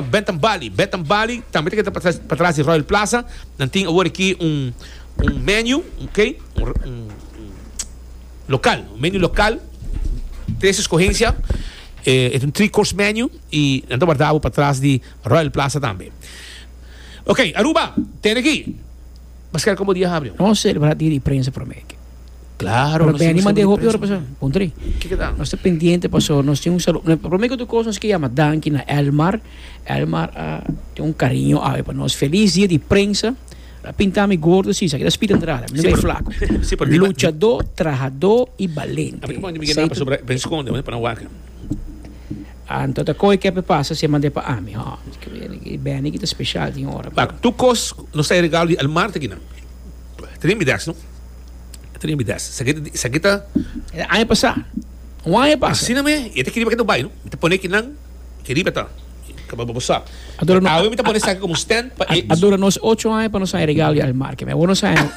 Bentham Bali, Bentham Bali tambe ta keda pa tras di Royal Plaza, nan tin awor aki un un menu, ok, un un local, un menu local, tres escogencia, eh, es un three course menu y nan ta warda awor pa tras di Royal Plaza tambe. Ok, Aruba, tene aki, Pascal como dia habri? Nos celebra dia di prensa prome. Claro, Pero Benny mande hopi ora pasa. Pondre. Nos está pendiente pasó. Nos tiene un saludo. Primero que tu cosa nos que llama Danki na Elmar. Elmar uh, tiene un cariño ave para nos. Feliz día de prensa. La pinta mi gordo sí, sabe que spit entrada, mi ben flaco. Sí, pero luchador, trabajador y valiente. Abi como mi gena para sobre ben secondo, para waken. Anto ta koi kepe pasa se mande pa ami. Ha, ben ik special die ora. Bak, tu kos no sei regalo di Elmar te gina. Trim mi des, no? Trin mi des. Sa kita, sa kita. E aña pasá. Un aña pasa. Asina me, e te kiri pa kita bai, no? Mi te pone kinan, kiri pa ta. Kaba bo sa. Adora no. Awe mi te pone sa como stand pa e. Adora nos ocho aña pa nos aña regalo di El Mar, que me awe nos aña.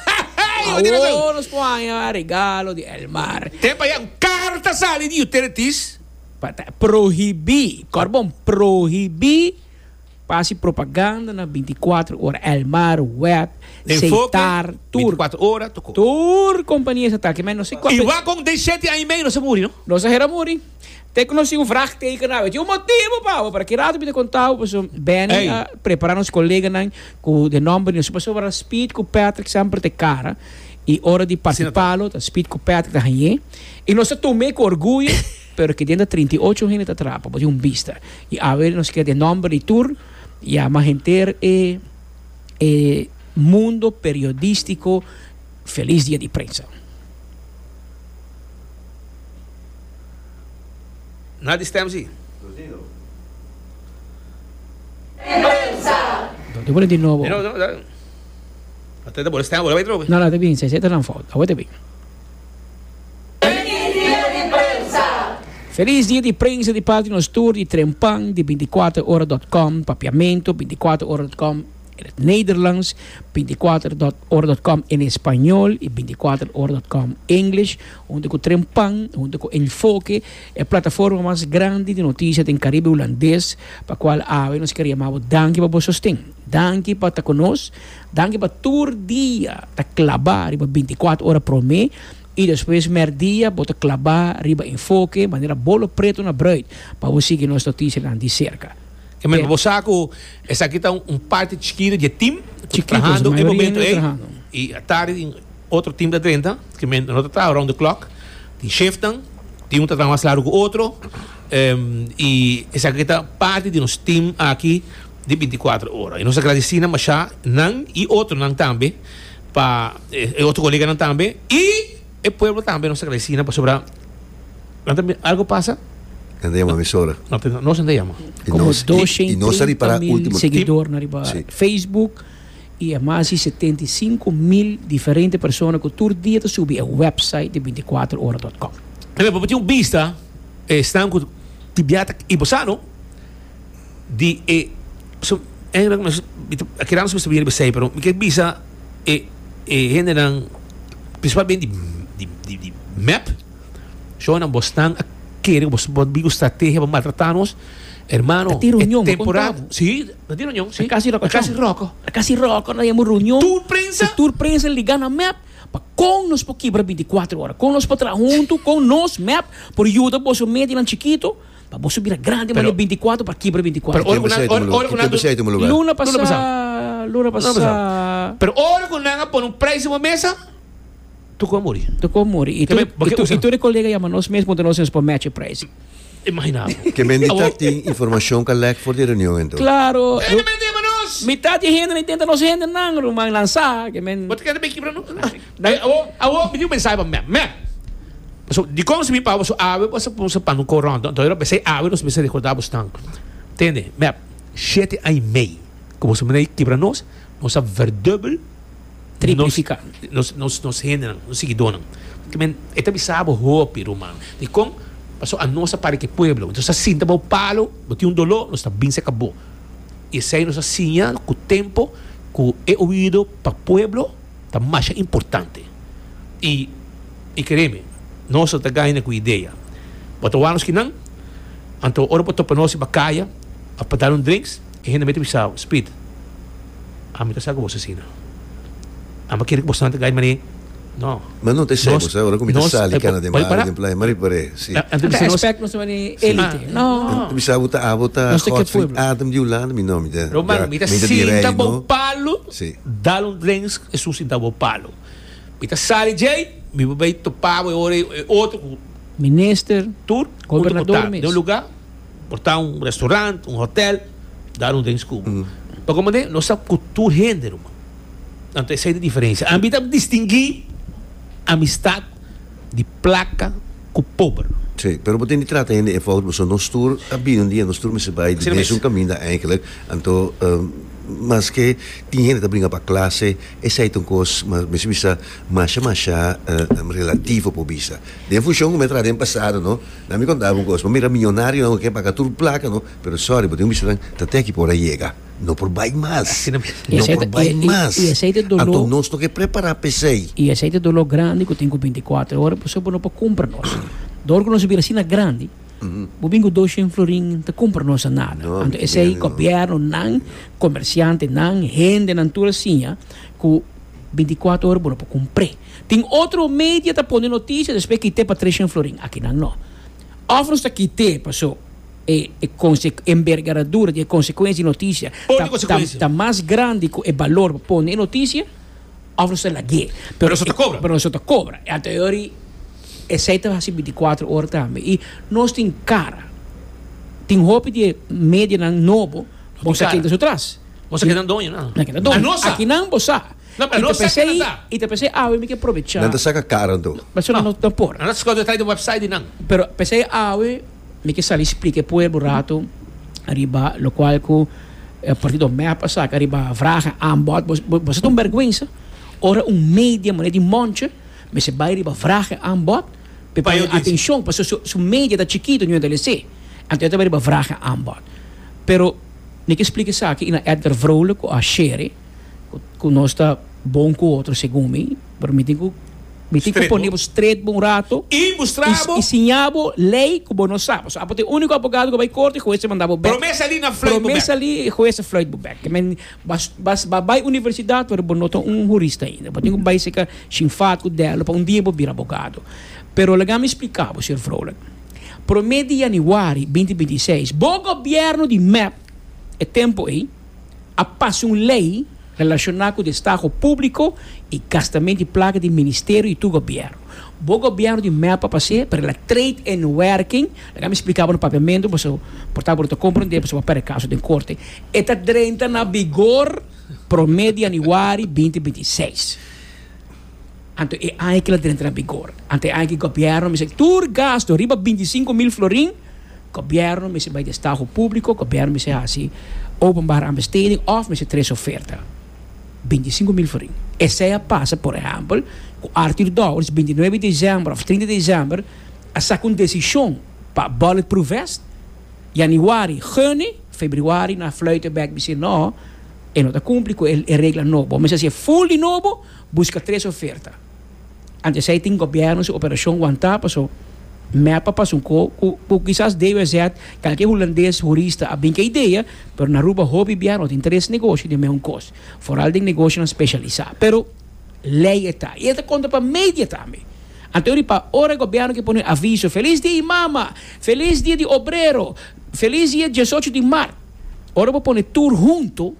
Awe nos po aña regalo di El Mar. Tem pa ya un carro ta sali di utilities. Pa ta prohibí, korbon, prohibí. Pa hasi propaganda na binti kuater ora El Mar, Wet, Seitar, tur. Tur kompania esa ta. Kemei no si kua. I wak kon den shete aña i meiu no sa muri no. No sa hera muri. Te ku no si un vraagteken na awe. Tin un motibu pa awe para ki rato mi ta konta bo paso Benny a prepara nos koleganan ku den nòmber di nos. Paso wara Speed ku Patrick semper ta e kara i ora di parti palo ta Speed ku Patrick ta hañ'é i nos ta tum'é ku orguyo. Pero ke den ta trinta i ocho hende ta trapa bo di un bista. I awe nos keda e nòmber di tur, ya mas henter e e mundo periodístiko felis dia di prensa. Na di stem si. Di bole di nobo. Di nobo. Ata ta bole stem bole bai trobe. No no tabien, sesenta nan fout. Awe tabien. Felis dia di prensa di parti nos tur di Tren Pan di bintikuater ora dot com, Papiamento bintikuater ora dot com en het Nederlands, bintikuater ora dot com en Español i bintikuater ora dot com English, huntu ku Tren Pan, huntu ku Enfoke, e plataforma mas grandi di notisia den Karibe Hulandes, pa kual awe nos kere yama bo danki pa bo sosten. Danki pa ta ku nos, Danki pa tur dia ta klabá riba bintikuater ora promé i despues mèrdia bo ta klabá riba Enfoke manera bo lo pretu na bruid pa bo sigui nos notisianan di serka. Amen. Bo sa ku esaki ta un parti chikitu di e tim ku ta trahando e momentu ei i tardi tin otro tim ta drenta ku men no ta traha around the clock. Tin shifnan, tin un ta traha mas laru ku otro i esaki ta parti di nos tim aki. di binticuatro ora. Y nos a gradeci na masha nan y otronan tambe pa e otro coleganan tambe y e pueblo tambe nos a gradeci nan pasobra nan ta mira algo pasa Nan ta yama emisora. no ta nos nan ta yama. Y Como nos doce y y nos a treinta ripara mil ultimo tip. seguidornan riba Si. Facebook y e mas di setenta y cinco mil diferente persona cu tur dia ta subi e website di binticuatro ora dot com. Ejemplo, bo tin un bista, e snan cu di biaha ta i bo sano. di e so engra mi ta keda mi ta bini bisai pero mi ke bisa e e hendenan principal mente di di di mep shona bo stan a kere bo bo bin ku strategia pa maltrata nos hermano e temporada si a tin reunion si a kasi roko a kasi roko na yama reunion tur prensa tur prensa liga na mep pa kon nos por kibra binti kuatro ora kon nos por traha huntu kon nos mep por yuda boso medinan chikito. Pa boso bira grandi mane binti i kuater pa kibra binti i kuater. Pero ora ku nan ora ku nan Kembe seiti mulugar. Luna pasa. Luna pasa. Luna pasa. Luna pasa. Pero ora ku nan a pone un prijs riba mesa tokoi a muri. Tokoi a muri. I tur i tur i tur e kolega yama nos mes puntra nos nos por match e prijs. Imagina abo. Kembe di ta tin informashon ku a lek for di e reunion ento. Klaro. E kembe ta yama nos. Mitat di e hende na intenta nos hende nan ruman nan sa kembe. Bo ta kere ta bin kibra nos. Dai awo, awo mi tin un mensahe pa mè, mè. Pasobra dikon si mi papa su awe bo sa pon sa pano kor rònt, anto yora besei awe nos mester rekordá bo snan. Tende, mè, shete an i mei ku boso mina i kibra nos, nos a verdùbel, Triplifiká. nos, nos, nos hendenan, nos sigidónan. Kimen e ta bisa bo hopi, ruman. Dikon? Paso anos a para ku e pueblo. Nos a sinta bou palo, bo tin un doló, nos ta bin seka bo. I esei nos a siña ku tempu ku e oido pa pueblo. ta masha importante y y créeme nos no ta gaina cu idea bo ta waranos kinan anto ora bo topa nos riba caya of pa dal un drinks e hende a mete bisa bo Speed ami ta sa cu bo ta asina ami a kere cu bo santa gai mané no Ma no ta esai bo sa ora cu mi ta sali cana den baño den playa mari pare si anto bisa nos Respect nos mari elite no anto bisa bo ta abo ta Godfrey Adam di Hulanda mi no mi ta Román mi ta sinta bo palo. Sí. Dal un drensk e susi da bo palo. Mi ta sali djei, mi bo bay topa bo e ora e otro cu. Minister, tur, junto cu tal. Den un luga, por ta un restaurant, un hotel, dal un drenks cu bo. Pa como de, nos sa cu tur hende, ruman. Anto esey ta diferencia. Ami ta distingui amistad. di placa cu pober. Si, pero bo tin di trata hende efout pasobra nos tur a bini un dia nos tur mester bay di mesun caminda eindelijk, anto maske tin hende ta bringa pa clase esey ta un cos mas mester bisa masha masha relativo por bisa den funcion cu mi a traha den pasado no nan mi contaba un cos bo mira millonario nan cu a kier paga tur placa no pero sorry bo tin cu bistanan ta te aki por a yega. No por bai mas. Asina mi. I No aceite- por bai i- i- mas. i aceite dolor- Anto nos no ke prepará p'esei. I aceite dolor grandi ku tin ku binticuater ora pasobra bo no por kumpra nos. Dor ku nos a bira asina grandi, bo bin ku doshent florin ta kumpra nos nada. No, mi Anto tin esei miedo, no. gobièrnunan, komersiantenan, hendenan tur a siña ku binticuater ora bo no por kumpr'é. Tin otro media ta pone notisia, despues kit'é pa treshent florin. Akinan no. Òf nos ta kit'é paso e enbergaradura di e konsekuensia di e notisia ta mas grandi ku e balor bo pone e notisia, òf nos ta lag'é. Pero nos no ta kobra. I anteriori esei ta hasi bintikwatro ora tambe. I nos tin kara. Tin hopi di e medianan nobo bo sa keda su tras. Bo sa keda doño nan. Nan keda doño. Aki nan bo sa. I ta p'esei awe mi ke probechá. Nan ta saka kara anto. Nan ta skoda trai di wèpsait di nan. Pero p'esei awe. Mi ke sali splika e pueblo un ratu riba lokual ku e partido mep a saka riba vragen aanbod. Bo sa ta un bèrgwensa ora un media manera di Monce mester bai riba vragen aanbod pa e pone e atenshon, pasobra su su media ta chikitu no yenta lese. Anto e ta bai riba vragen aanbod. Pero mi ke splika esaki i na Edgar Vrolijk ku a share ku nos ta bon ku otro segun mi. Pero mi tin ku mi tin ku pone bo stret bo un rato i siña bo lei ku bo no sa. Pasobra apo ta e úniko abogado ku a bai korte i hues a manda bo bèk. Promé salí nan fluit bo bèk. Promé salí e hues a fluit bo bèk. Men b'as bai universidat pero bo no ta un hurista ainda. Bo tin ku bai seka Shingfad ku Delo pa un dia bo bira abogado. Pero laga mi splika bo, señor Vrolijk. Promé di yanüari binti binti i seis bo gobièrnu di mep e tempu ei, a pasa un lei relashoná ku di estaho públiko i gastamentu di plaka di ministerio i tur gobièrnu. Bo gobièrnu di mèt pa pas'é, pero el a trade in werking, laga mi splika bo na papiamentu pasobra bo por tabata bo ta komprendé pasobra bo a pèrdè kaso den korte, e ta drenta na bigor promé di yanüari binti binti seis. Anto e aña ki lo dren tra bigor. Anto e aña ki gobièrnu mester tur gastu riba binti sinku mil florin, gobièrnu mester bai den stahu públiko, gobièrnu mester hasi openbare aanbesteding òf mester trese oferta. Binti sinku mil florin. Esei a pasa, por ehèmpel, ku Arthur Dowers binti nuebe desèmber òf trinta desèmber a saka un desishon pa bulletproof vest. Yanüari, gene, febrüari nan a flùita bèk bisé, Nò, e no ta kumpli ku e regla nobo. Bo mester hasié ful di nobo. Buska tres oferta. Anto esei tin gobièrnu su operashon wantá, paso mèt pa pasunko ku ku kisas DWZ kalke hulandes hurista a bin ku e idea, pero na Aruba hopi bia no tin tres negoshi den meun kos, foral den negoshinan speshalisá. Pero lei e ta, i e ta kontra pa media tambe. Anto riba ora e gobièrnu ke pone aviso, Felis dia di mama! Felis dia di obrero! Felis dia diesocho di mart! Ora bo pone tur huntu,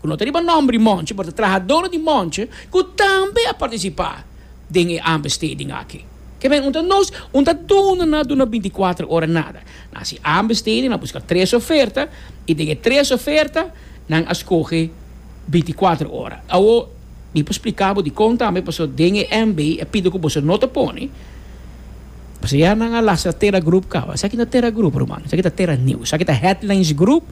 ku no ta riba nòmber di Monche, pero ta trahadónan di Monche ku tambe a partisipá den e aanbesteding aki. Ke men un ta nos? Un ta duna, nan a duna binticuater ora nada. Nan a hasi aanbesteding, nan a buska tres oferta i den e tres oferta nan a skohe binticuater ora. Awo mi por spliká bo dikon tambe, paso den e MB a pidi ku boso no ta pone, paso ya nan a lastra Tera Group kaba. Esaki no ta Tera Group, ruman. Esaki ta Tera News. Esaki ta Headlines Group.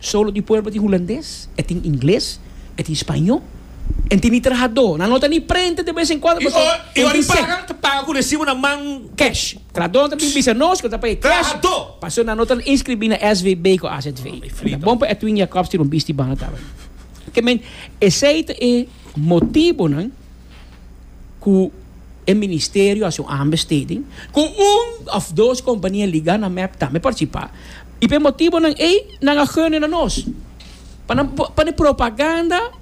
Solo di pueblo tin hulandes, e tin ingles, e tin spaño, e tin di trahadó nan, no ta ni prenta de bes en cuando pasobra e tin sec. Y ora e paga, ta paga cu recibo na man cash. Trahadó ta bin bisa nos cu ta pay cash pasobra nan no ta inscribí na SVB cu AZV. Ta bon pa Edwin Jacobs tira un bisti banda tabata. Esey ta e motibonan. ku e ministerio hasi un aanbesteding ku un òf dos kompania ligá na mep tambe partisipá i p'e motibonan ei nan a gune na nos pa nan pan e propaganda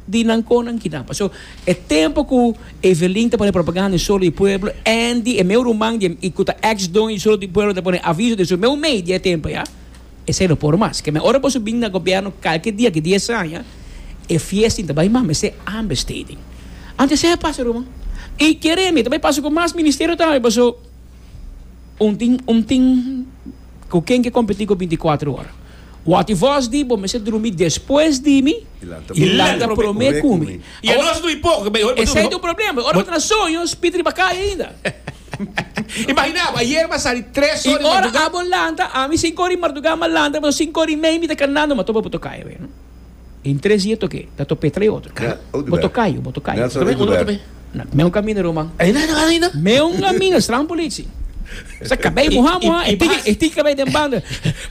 di nan kon nan kina pa so e tempu ku Evelin ta pone propaganda di solo di pueblo Andy e meu ruman di ku ta ex doño di solo di pueblo ta pone aviso di su meu media e tempu ya. Esei no por mas. Keme ora boso bin na gobierno kalke dia di dies aña, e fiestin ta bai mas mester understating. Ante esei a pasa, Ruma. I kere mi ta bai pasa ku mas ministerio tambe, paso un tin, un tin ku ken ke kompetí ku binti kuatro ora. Wak i vos di bo mester drumi despues di mi i lanta promé ku mi. Esei ta un problema, ora bo ta na soño, spitri bakaya ainda. Imaginá bo, ayer mi a sali tres ora di mardugá. I ora abo lanta, ami sinku ora di mardugá mi a lanta, pasobra sinku ora i mei mi ta kanando, mi a topa bo tokayo awe. I tres dia toke, ta top'é trei otro. Ka, bo tokayo, bo tokayo. Nelson Eguber. Na meu kaminda ruman. Ei na nada ainda? Meu kaminda, strahan polici. Sa kabei mohá mohá, e tiki e tiki kabei den banda.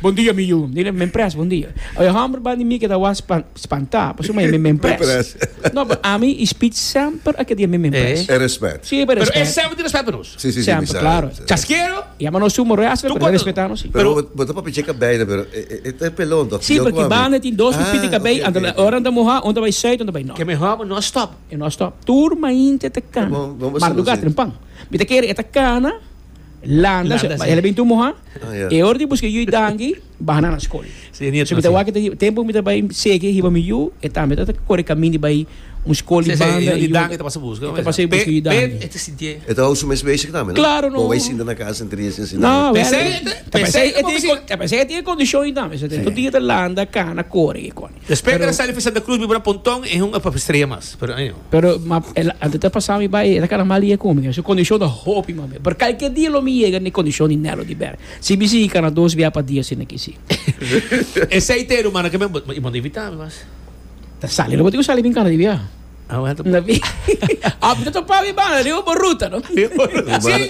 Bon dia mi yu, mi di men pres, bon dia. Oye homber, bandi mi ke ta was pa. Spantá, pasobra mi a mi me impress. Impress. No, but ami e speech semper a ke di a mi me impress. E respet. Si, pero e Pero e respet. semper tin respet pa nos. Si, si, si, mi Semper, sa. claro. mi sa. Chasquero. Yama nos su moreas, Tur pero e cuanto- respetá nos si. Pero Pero- bo bo ta papia e kabei na pero e e ta e pelon tok. Si, porque banda tin dos pipí di kabei, Ah, ok, ante ok, ok. ora nan ta mohá, un ta bai sùit, un ta bai nòrt. Ke mehor bo no stop. E no stop. Tur mainti e ta kana. Bon, bon, bon, Marduga sí. tren pan. Mi ta kere e ta kana, Landa, Landa, sí. el a bin tu moha. Ah, ja. E or di buske yu dangi, baha na na skol. Sí, nieto, So mi ta sí. wak ta hi- tempo mi ta bai sege hiba mi yu, e tambe ta ta kore kamin di bai un skol di Sí, sí, banda. yu di yu- dangi ta pasa buska, e ta pasa buska yu Pe- dangi. pe- e ta sinti e. E ta hou su mes bezig tambe, no? Claro, no. Kon bai sinta na kasa en trie sin sinta. No, Pe se- pe se- ta pasa e tin e kondishon yu tambe. Su tin, Sí. tu dia ta landa, kana, kore, kikon. Despues cu a sali pa Santa Cruz mi por a Pontón y hunga pa Estrella Mas. Pero anjo. Pero ma el antes ta pasa mi bay era carnaval y e cu mi. Su condicion ta hopi mas bien. Pero calkier dia lo mi yega ne condicion di Nelo di Berg. Si mi sigui cana dos bia pa dia asina aki si. Esey ta e rumannan cu mi bo bo ta invita mi mas. Ta sali no bo tin cu sali bin cana di bia. Ah bueno ta Tapi a mi ta topa mi banda riba bo ruta no. Si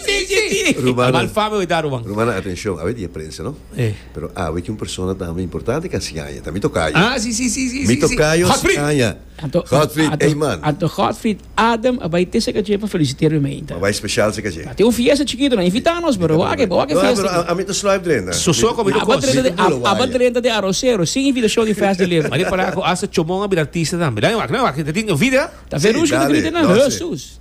si si si. Rumannan. Malfami hoy ta Ruman. Rumannan atencion a wer di e prensa no. E. Pero awe ki un persona tambe importante ka siaña, ta mi tokayo. Ah, si, si, si, si, si, si. Mi tokayo Godfried! siaña, Anto, Godfried anto, Eyman. anto Godfried Adam a bai te Seka Dje pa felisitera mi meinta. M'a bai special Seka Dje. Ta tin un fiesta chikito, nan invita nos, bro. Wak, wak e No, fiesta pero a, aki. a mi ta sluip drenta. Sosó Mi- komo mi ta Aba kos. drenta mi de, ta bulu a- aba waya. drenta de Arrocero, sin invitashon di Fast Delivery. Mari para ku hasta Chomon a bira artista tambe. Dale wak, dale wak, te tin video? Ta Verushka ta dale, grita nan, no, sí. Hesus!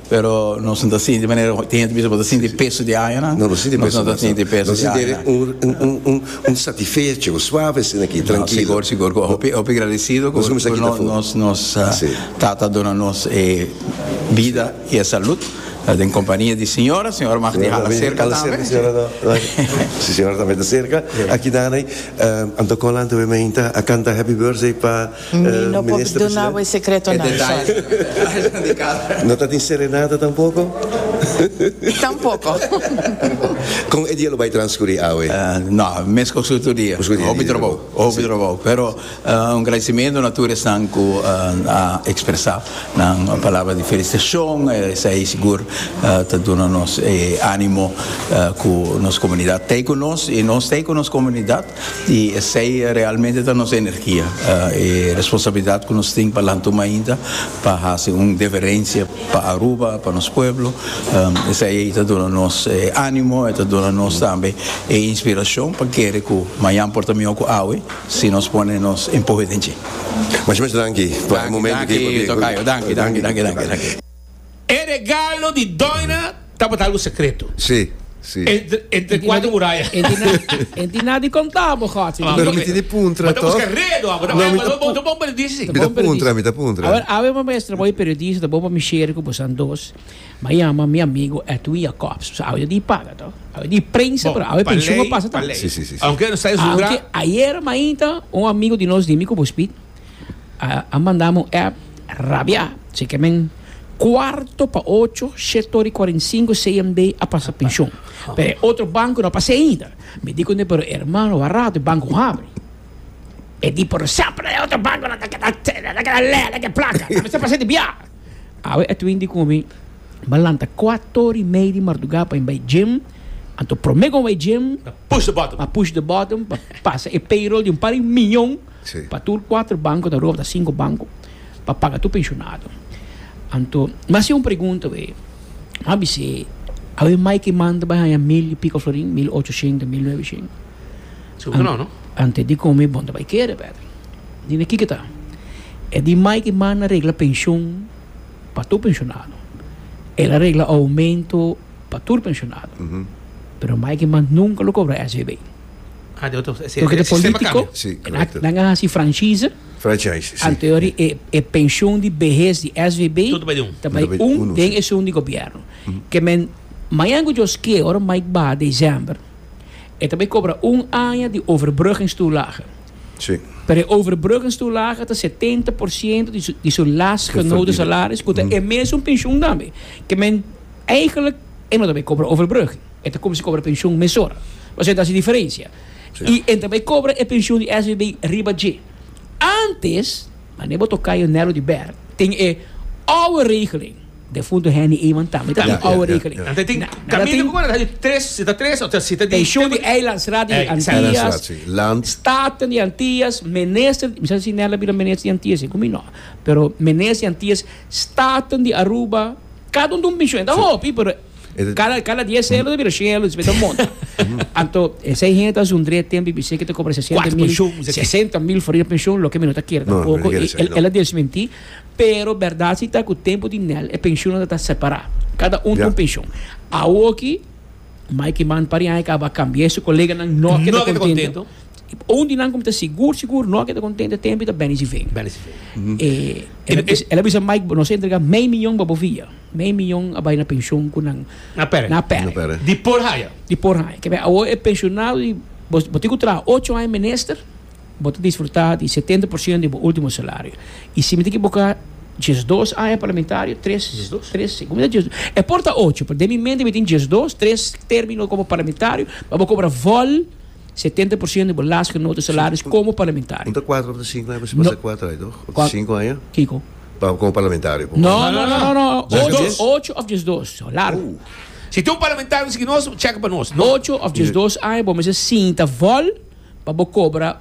Pero nos no ta sinti di manera ku tin hende bisa bo ta sinti peso di añanan. No, nos no ta sinti peso di añanan. Nos ta sinti un satifecho, un suave asina aki, trankilo. No, sigur, sigur ku hopi, hopi gradisidu ku nos Tata a duna nos e bida i e salut den kompania di siñora. Siñora mag di hala serka tambe. Si, siñora tambe ta serka. Aki nan ei Anton Colan ta bai mainta, a kanta Happy Birthday pa. Mi no por duna bo e secretonan sorry. No ta tin serenata tampoco? Tampoco. Con e dia lo bay transcuri awe? No, mes coso otro dia. Hopi trabao, hopi trabao. Pero un agradecimiento na tur esnan cu a expresa nan palabra di felicitacion. Esai sigur ta duna nos e animo cu nos comunidad t'ey cu nos y nos t'ey cu nos comunidad. I esei realmente ta nos energia, e responsabilidat ku nos tin pa lan tuma ainda pa hasi un deferensia pa Aruba, pa nos pueblo. Esei ei ta duna nos e animo, e ta duna nos tambe e inspirashon pa kere ku mañan por ta mihó ku awe si nos pone nos empuhe den dje. Mashmash danki pa e momentu aki. Danki, danki, tokayo. Danki, danki, danki, danki, danki. E regalo di doina tabata algu secreto. Sí, sí. Entre cuatro muraya. E di na, e di na di conta bo gosi. Bo no miti di puntra toh. Bo ta busca redo abo. No mi ta puntra. Bo bon periodista si. Mi ta puntra, mi ta puntra. A ver, awe bo mester bo e periodista ta bo pa mi share cu bosan dos. M'a yama mi amigo Edwin Jacobs. Bosa awe di paga toh. Awe di prensa pero awe pensioen a pasa tambe. Sí, sí, sí. Aunque no sa e su. Aunque ayer mainta un amigo di nos di mi cu bo speed. a manda mi un app rabia si ke men cuarto pa ocho shit ori cuarenta y cinco CMD a pasa pension pero e otro banco no a pasa ainda mi di cunde pero hermano a rato e banco a habri e di pero semper e otro banco lo ta keda lo ta keda lei de placa ta mester pasa di bia awe Edwin di con mi bo lanta cuato ori y media di marduga pa bai gym anto prome con a bai gym a push the button pa pasa e payroll di un par di miyon Sí. Pa tur kuater banko ta robda sinku banko pa paga tur penshonado. Anto mi a hasi un pregunta awe, mi a bis'é, awe mai ke manda bai haña mil i piko florin, mil ocho shento, mil nueve shento? Seguro no, no? Ante di kome bo ta bai kere, bèt. Di na kiko ta? E di mai ke manda regla penshon pa tur penshonado. El a regla oumento pa tur penshonado. Pero mai ke manda nunka lo kobra SVB. Ah, de otro. Sí, Porque el de sistema político, cambia. Sí, en correcto. a- nan a hasi franchise, Franchise, sí. anterior e, e pensioen di behés di SVB, Todo bij un. ta bij Todo bij un uno, den sí. esun di gobierno. Ke men, mañan ku Djos ke, ora Mike ba december, e ta bij kobra un aña di overbruggingstoelage. Sí. Pero e overbruggingstoelage ta 70% di su, di su last Te genoten verdienen. salaris, ku ta e mesun pensioen tambe. Ke men, eigenlijk, e no ta bij kobra overbrugging. E ta cuminsa cobra pension mesora. Pasobra e ta haci diferencia. Y e ta bay cobra e pension di SVB riba dje. Antes, mane bo toca yo Nero di Ber, tin e oude regeling. Defunto Henny Eman tambe ta tin oude regeling. Antes tin camino cu ta haci tres, si ta tres o ta siete di. Pension di Eilandsraad di Antillas, Staten di Antillas, Minister di, mi sa si Nella bira Minister di Antillas e cu mi no. Pero Minister di Antillas, Staten di Aruba, cada un ta un pension. E ta hopi pero. Cada, cada diez euro te bira cien euro, después te monta. Anto, esei hende ta zundri e tempo y bisei que te cobra 60 Cuatro mil, pensioen, dice que. 60 mil for e pensioen, loke mi no ta kier No, mi no tampoco. kier E- esei, el, no. el a desmenti, pero berdad si ta cu tempo di Nel e pensioennan ta separa. Cada un ta Ya. un pensioen. Awoki, Mikey Mann pariaña caba a cambia su coleganan, no ke No ta ke ta contento. Un di nan cu mi ta sigur, sigur, no ke ta contento e tempo y ta Benny Sivena. Benny Sivena. E, el, a Ene- bis- el a bisa Mike, nos a entrega mei miyon bobo via. Mei mion a bai na penshon ku nan Na pere. na pere. Na pere. Di por haya. Di por haya. Ke bai awor e penshonado di bo bo tin ku traha ocho aña menister bo ta disfrutá di setenta por siento di bo ultimo salario. I si mi tin ke boka diesdos aña parlamentario tres Diesdos? tres si kumida diesdos e por ta ocho pero den mi mente mi tin diesdos tres termino komo parlamentario a bo kobra vòl setenta por siento di bo lasgenoten salario komo parlamentario. Unta kuater ota sinku aña mi pasa kuater aña toh? Ota sinku aña? Kiko? Pa con parlamentario por No, no, no, no, no. Check Ocho, this. ocho of just dos. So, largo. Si tin un parlamentario miskien nos, check pa nos. No. Ocho of just dos aña bo mester sinta vol pa bo cobra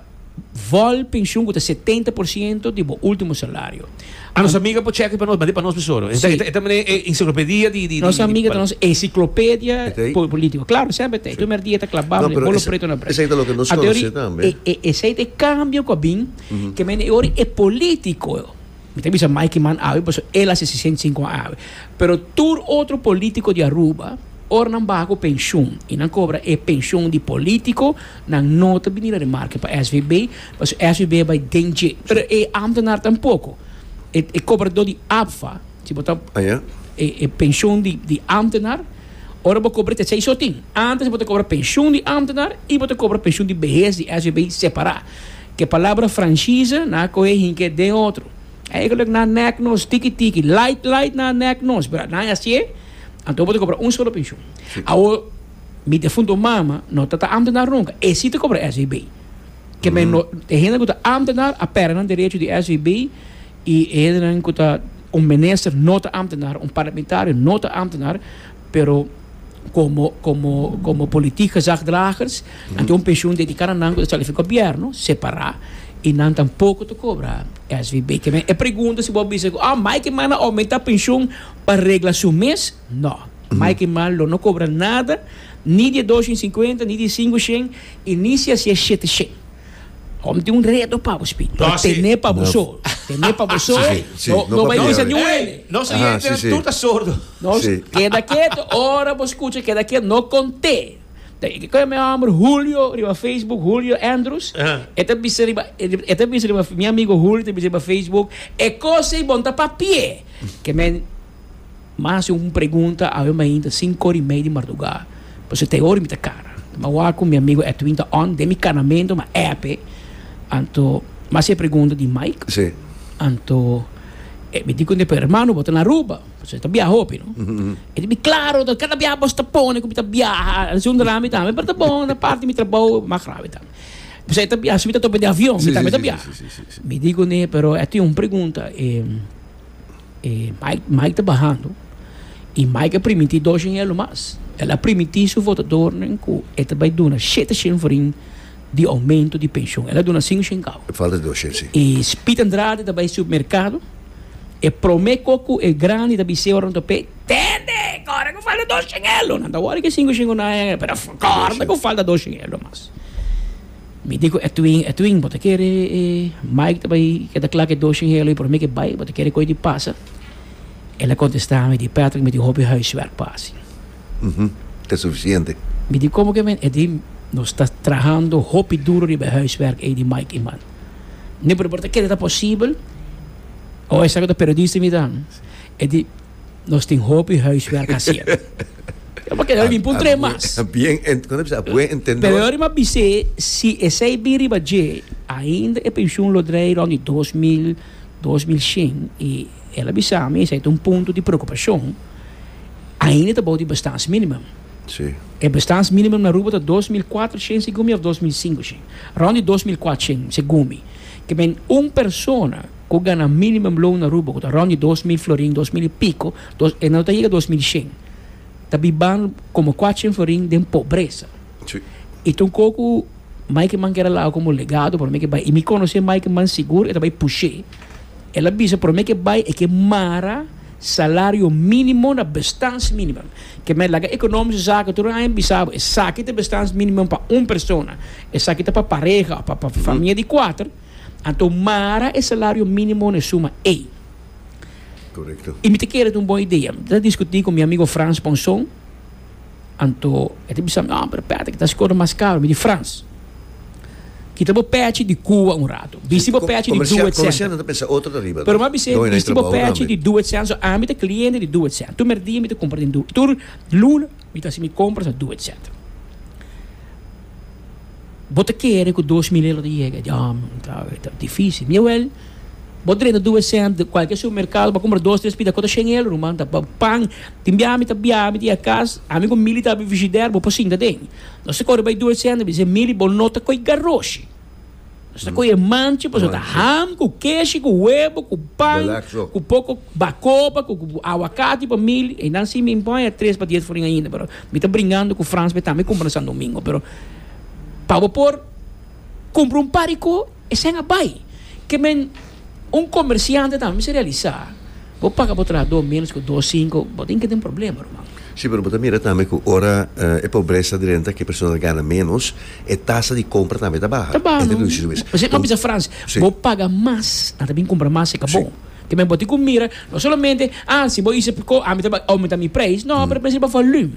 vol pensioen cu ta setenta por ciento di bo ultimo salario. A nos amiga por check it pa nos, mandi pa nos besoro. E ta, Sí. e ta, e ta mane e enciclopedia di, di, di, Nos di amiga ta pal- nos enciclopedia E ta ei. po- politico. Claro, sempre te. E primer dia ta clabable, No, pero bolo esa- preto na esa break. ta lo que nos Adori, conoce tambe. e, e, esei te cambio cu a bin. Ke mene i ora e politico, mi ta bisa Mikey Man awe paso el a sesi sesenta i sinku an awe, pero tur otro politico di Aruba, ora nan baha ku penshun i nan kobra e penshun di politico, nan no ta bini na remarke pa SVB, paso SVB a bai den dje. Pero e ámtenar tampoko. E e kobradó di ABFA, si bo ta e e penshun di di ámtenar, ora bo kobra ta tsei so tin. Antes bo ta kobra penshun di ámtenar i bo ta kobra penshun di behes di SVB separá. Ke palabra franchize na kohe hinke den otro. Eigenlijk na nek nos tiki tiki, light light na nek nos, pero na hasié, anto bo ta kobra un solo penshon. Awo mi defunto mama no ta ta ambtenar nunka, e si ta kobra SVB. Ke men no, e hende ku ta ambtenar a pèrdè nan derecho di SVB, i e hendenan ku ta un minister no ta ambtenar, un parlamentario no ta ambtenar, Pero komo komo komo politik gezagdragers nan tin un pensioen dediká na nan ku ta sali for gobièrnu separá i nan tampoko ta kobra SVB. Ke men e pregunta si bo a bisa ku oh Mike Eman a oumentá pensioen pa regla su mes. No. Mike Eman lo no kobra nada ni di e dos shen i sinkuenta ni di e sinku shen i ni si a siña e shete shen. Kom tin un reto pa bo spit. Pero tene pa bo so. Tene pa bo so. No bai bisa ni un hende. Nos oyente nan tur ta sordo. Keda ketu ora bo skucha keda ketu. No konte. Ke koe mi homber Julio riba Facebook, Julio Andrews. E ta bisa riba, e ta bisa riba mi amigo Julio ta bisa riba Facebook, e kos ei bon ta pa pie. Ke men. Mas di un pregunta awe mainta sin kor di mei di mardugá, pasobra ta e ora mi ta kara. Mi a wak ku mi amigu Edwin ta on den mi karamentu, mi a èp e, anto mi a hasi e pregunta di Mike, anto e mi di kunda pa e ermano, Bo ta na Aruba? Pasobra e ta biaha hopi, no? E di mi, Klaro, ta kada biaha bos ta pone ku mi ta biaha, a hasi un drami tambe, pero ta bon, ta parti di mi trabou, mas gravi tambe. Pasobra e ta biaha, si mi ta topa den avion, mi tambe ta biaha. Mi di kunda e, Pero e tin un pregunta. E Mike Mike ta bahando y Mike a primiti dos shinhel lo mas. El a primiti su votadornan cu e ta bay duna shete shin forin di aumento di pension. El a duna cinco shin cabo. E falta dos shin, si. Y Piet Andrade ta bay supermercado, e prome co cu e grandi ta bise ora nan ta pei, Tende, corda cu falta dos shinhel lo. Nan ta worde cu e cinco shin cu nan a haya pero corda cu falta dos shinhel lo mas. Mi di ku Edwin, Edwin, bo ta kere e Mike ta bai keda kla ku e dos shingelo i por mi ke bai? Bo ta kere koi di pasa? El a kontestá mi, Di Patrick, mi tin hopi huiswerk pa hasi. Ta sufisiente. Mi di, Komo ke men? El di, Nos ta trahando hopi duru riba e huiswerk ei di Mike i man. Mi di, Pero bo ta kere ta posibel? O esaki ta periodista mi ta? El di, Nos tin hopi huiswerk hasier. Yo por keda limpo un tres mas. A bien, como se dice, a buen entendor. Pero yo rima bis'é, si esei bin riba dje, ainda e pensioen lo drei rond di dos mil, dos mil shen. I el a bisa mi esei ta un punto di preocupacion. Ainda ta bou di bestans minimum. Sí. E bestans minimum na Aruba ta dos mil kuater shen segun mi of dos mil sinku shen. Rond di dos mil kuater shen segun mi. Ke men un persona. ku gana minimum loan na Aruba, ku ta rond di dos mil florin, dos mil i piko, dos, e no ta yega dos mil shen. Ta biban komo kuater shen florin den pobresa. Sí. I ta un ko ku Mike Man keda laga komo legado promé ke bai. I mi konosé Mike Man sigur e ta bai push'é. El a bisa promé ke bai e ke mara salario minimum na bestans minimum. Ke men laga ekonomishi zaken tur aña bisa bo esaki ta bestans minimum pa un persona, esaki ta pa pareha òf pa familia di kuater. Anto mara e salario minimo na e suma ey. Correcto. Y mi ta kere ta un bon idea. Mi ta discuti cu mi amigo Frans pa un son. Anto e ta bisa mi, no, pero p'e ta haci cosa mas caro. Mi di, Frans, kita bo pechi di Cuba un rato. Bisti bo pechi di Comercial, Duet comercial Center. nan ta pensa otro ta riba. Pero mi a bisa e, bisti bo pechi di Duet Center. So, ami ta cliente di Duet Center. Tur merdia mi ta cumpra den Duet. Tur luna. Mi ta hasi mi compras a Duet Center. Bo ta kere cu dos mil euro ta yega? Diom, ta dificil. Miawel, bo ta drenta Duet Center, cualkier supermercado, bo ta cumpra dos, tres pita, cu ta shen euro ruman? Ta pan. Tin bia mi ta bia, mi ta yega cas, ami cu Mili ta habi frishider, bo por sinta den. Nos ta core bai Duet Center, mi ta si, Mili, bo no ta coge garroshi. Nos ta coge manchi pasobra ta ham cu keshi cu webo cu pan cu poco bacopa cu aguacati pa mil einan si mi pon e tres pa dies foring ainda pero mi ta bringando cu Frans be tambe cumpra na San Domingo pero pa bo por cumpra un par di co esey a bay ke men. Un komersiante tambe mester realisá, bo paga bo trahadó ménos ku dos sinku, bo tin ke den problema, ruman. Sí, pero bo ta mira tambe ku ora e pobresa ta renta ku e persona ta gana ménos, e tasa di kompra tambe ta baha. Ta baha, no? Pasobra bo a bisa Frans, bo paga mas, nan ta bin kumpra mas serka bo. Te men bo tin ku mira, no solamente, ah, si bo hise priko, ami ta bai oumentá mi preis. No, pero mester bo volum.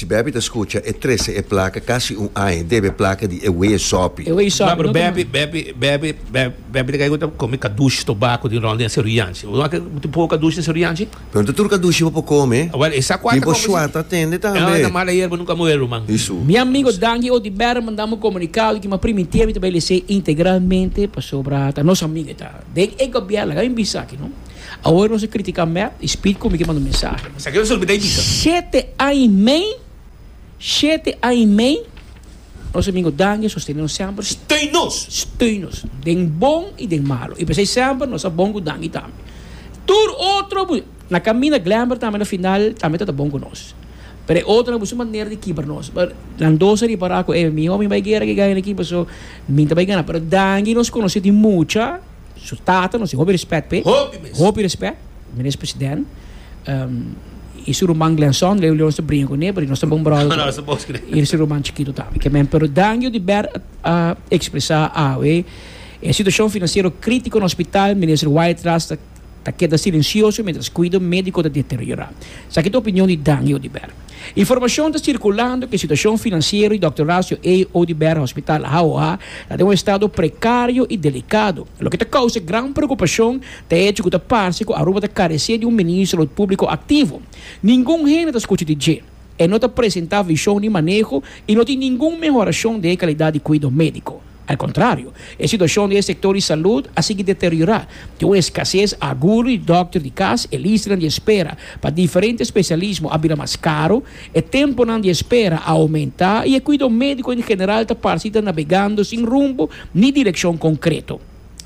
Si Bepi ta scucha e trece e placa casi un aña debe e placa di e wee sopi. M'a pero Bepi Bepi Bepi Bepi ta caigo ta comi cadushi tobaco di rond di nan seru yanchi. Bo no tin tin poco cadushi nan seru yanchi? Pero no ta tur cadushi bo por come. Awel esa cua ta comenzá. Tipo shuata tende tambe. Esa mala yerba nunca muer ruman. Di su. Mi amigo danki oti Bert mandanme un comunicado di ki ma primitié mi ta bay lese integralmente pasobra ta nos amigo e ta den e gobierno laga mi bisa aki no. Awor nos a critica mep y speed cu mi ke manda un mensahe. Esaki nos a olbida y bisa. Shete aña y mei, shete aña y mei nos a mingo danki y sostene nos semper. Steun nos. Steun nos den bon y den malo y pesey semper nos a bon cu danki tambe. Tur otro bu na caminda Glamber tambe na final tambe tata bon cu nos. Pero e otro na busu manera di kiber nos. But nan dos a ripara cu ey mi hopi bay guera ke gana e ekipo so mi ta bay gana. Pero danki nos conoce di mucha. Su tata nos tin hopi respect p'e. Hopi mes. Hopi respect. Menes president. Y su ruman Glenson, Leo Leon nos ta bringa cune pasobra nos ta bon brother. Nos ta bos cune. Y su ruman chikito tambe. Ke men. Pero Dangio di Ber a expresa awe e situacion financiero critico na hospital, Minister Wyatt Ras ta keda silencioso mientras cuido medico ta deteriora. Esaki ta opinion di Dangio di Ber. Informashon ta sirkulando ku e situashon finansiero di Dòkter Horacio A. Oduber Hospital Hauha ta den un estado prekario i delikado. Loke ta kousa gran preokupashon ta e hecho ku ta parse ku Aruba ta karesé di un Ministro di Salud Públiko aktivo. Ningun hende ta skucha di dje. E no ta presentá vishon ni maneho i no tin ningun mehorashon den e kalidat di kuido médiko. Al kontrario, e situashon di e sektor di salud a sigui deteriorá. Tin un eskasés agudo di dòkter di kas, e listanan di espera pa diferente spesialismo a bira mas karu, e tempunan di espera a oumentá i e kuido médiko en general ta parsi ta nabegando sin rumbo ni direkshon konkreto.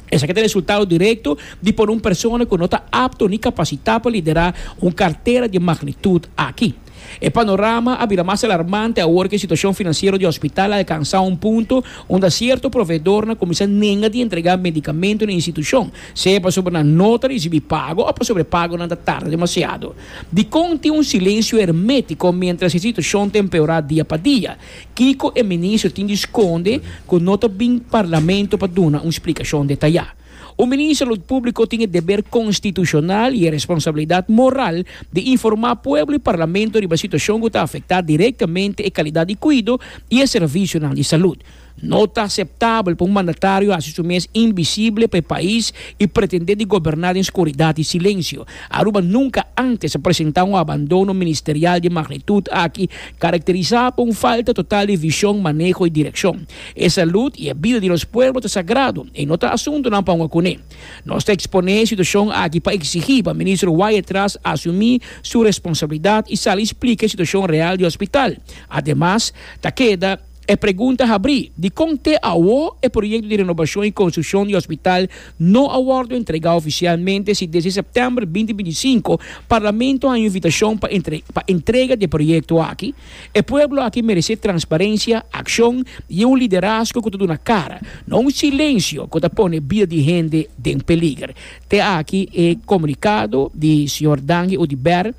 Esaki ta resultado direkto di pone un persona ku no ta apto ni kapasitá pa liderá un kartera di magnitud aki. E panorama a bira mas alarmante awor ku e situashon finansiero di hospital a alkansá un punto unda sierto proveedornan kuminsá nenga di entregá medikamentu na e institushon, sea pasobra nan no ta risibí pago òf pasobra e pagonan ta tarda demasiado. Dikon tin un silensio hermétiko miéntras e situashon ta empeorá dia pa dia? Kiko e minister tin di skonde ku no ta bin parlamento pa duna un splikashon detayá? Un minister Salud Públiko tin e deber konstitushonal i e responsabilidat moral di informá pueblo i parlamento riba situashon ku ta afektá direktamente e kalidat di kuido i e servisionan di salud. No ta aseptabel pa un mandatario hasi su mes invisible pa e pais i pretendé di goberná den skuridat i silensio. Aruba nunka ántes a presentá un abandono ministerial di magnitut aki, karakterisá pa un falta total di vishon, maneho i direkshon. E salud i e bida di nos pueblo ta sagrado i no ta asuntunan pa un okuné. Nos ta eksponé e situashon aki pa eksigí pa Minister Wyatt Tras asumí su responsabilidat i sali splika e situashon real di hospital. Ademas, ta keda e pregunta habrí dikon te awo e proyekto di renobashon i konstrukshon di hospital no a wòrdu entregá ofisialmente si desde sèptèmber binti binti i sinku Parlamento a haña invitashon pa pa entrega di e proyekto aki E pueblo aki meresé transparencia, accion y un liderazgo cu ta duna cara, no un silencio cu ta pone bida di hende den peliger, te aki e comunicado di Sr. Dangi Oduber,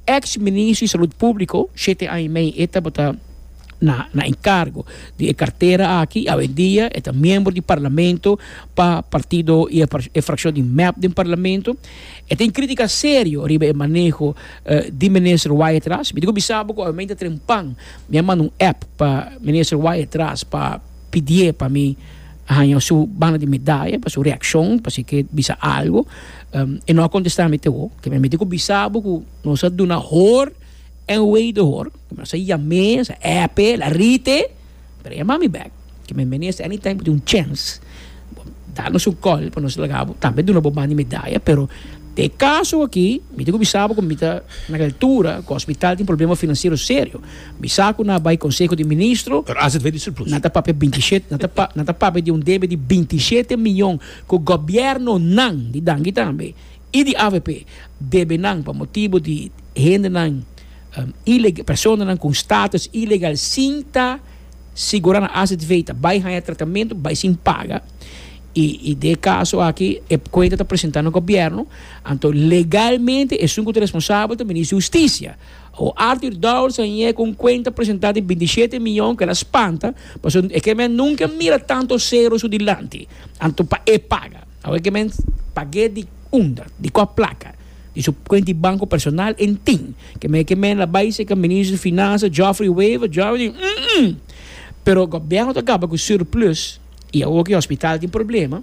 ex Ministro di Salud Publico, shete aña y mei e tabata na encargo di e cartera aki y awendia e ta miembro di Parlamento pa partido y e fraccion di mep den Parlamento. E tin crítica serio riba e maneho di Minister Wyethras. Mi dico bisa bo cu awe mi a inta tren pan, mi a manda un app pa Minister Wyethras pa pidié pa mi haña su banda di medaya pa su reaccion, pa si e ke bisa algo. E no a contesta mi te ho. Kibera mi dico bisa bo cu nos a duna hor en wederhor. Nos a yam'é, nos a app'é, el a rit'é. Pero yama mi bek, ke mi minister any time ku tin un chèns bo da nos un kòl pa nos laga bo, tambe duna bo bandi medaya, pero te e kaso aki mi tin ku bisa bo ku mi ta na e altura ku hospital tin problema finansiero serio, bisa ku na bai konseho di ministro, Pero as het vet di surplus. nan ta papia binti i shete nan ta pa nan ta papia di un debe di binti i shete miyon ku gobièrnonan di Danki tambe. y di avp debenan pa motibu di hendenan ilegal, personanan con status ilegal sin ta sigura nan azv ta bay haya tratamento bay sin paga y de e caso aki e cuenta ta presenta na gobierno anto legalmente esun cu ta responsabel ta Minister di Husticia o Artur Dowers a yega cu un cuenta presenta di binti shete miyon kela spanta pasobra e kember nunca mira tanto cero su dilanti anto pa e paga. Awor ke mens pag'é di unda, di kua plaka di su kuenta di banko personal en tin. Ke mei ke men la bai seka Minister di Finansa Geoffrey Wever, Geoff, di umm. Pero Gobièrnu ta kaba ku surplus i awor ke hospital tin problema,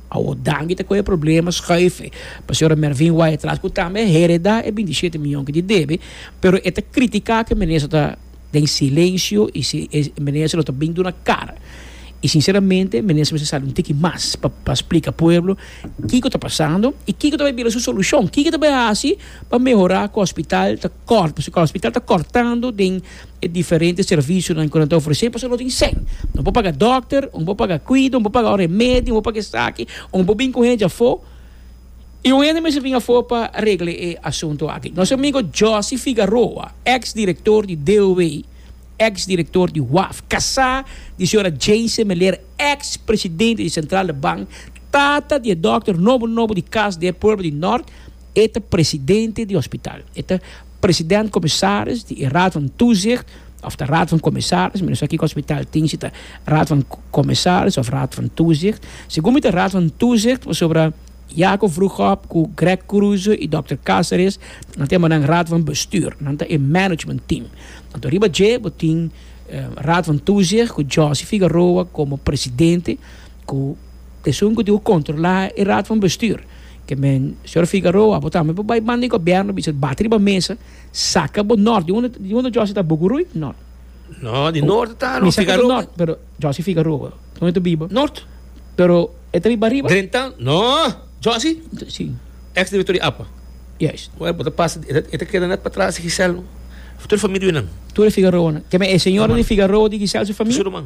awor Dangi ta kohe problema schuife pa señora Mervin Wai atras ku tambe a hereda e bintisete mion ke di debe, pero e ta kritika ke Minister ta. den silencio y si e minister lo ta bin duna car y sinceramente minister mester sali un tiki mas pa pa splica pueblo kico ta pasando y kico ta bay bira su solucion kico ta bay haci pa mehora cu hospital ta cort pasobra cu hospital ta cortando den e diferente servicionan cu nan ta ofrece pasobra no tin cen no por paga doctor no por paga cuido no por paga remedio no por paga esaki o no por bin cu hende afo i un hende mester bin afó pa regla e asunto aki. Nos amigo Josy Figaroa, ex director di DOW, ex director di WAF, casá di señora Jayse Meler, ex presidente di Central de Bank, tata di e dòkter nobo nobo di cas di e pueblo di Nort, e ta presidente di hospital. E ta. President-Commissaris di e Raad van Toezicht of ta Raad van Commissaris, mi no sa kiko hospital tin si ta Raad van Commissaris of Raad van Toezicht. Segun mi ta Raad van Toezicht pasobra Jaco Vroegop cu Greg Cruze y Dokter Caceres nan ta e mannan Raad van Bestuur, nan ta e management team. Anto riba dje bo tin Raad van Toezicht cu Josy Figaroa como Presidente. Ku esun ku tin ku kontrolá e Raad van Bestuur. Ke men, señor Figaroa, bo tambe por bai banda di gobièrnu bisa, bati riba mesa, saka bo nòrt. Di unda, di unda Jòsi ta? Bukurui? Nòrt? No, di nòrt ta Mi saka bo Figaroa. nòrt, pero Jòsi Figaroa, dónde ta biba? Nòrt? Pero e ta biba riba? Drentan? No, Jòsi? Sí. Èks direktor di apa? Juist. Wèl, bo ta pasa, e ta, e ta keda nèt patras di Gisèl tur e famia di wi nan. Tur e Figaroanan. Ke men, e señora di Figaroa, di Gisèl su famia? Su ruman.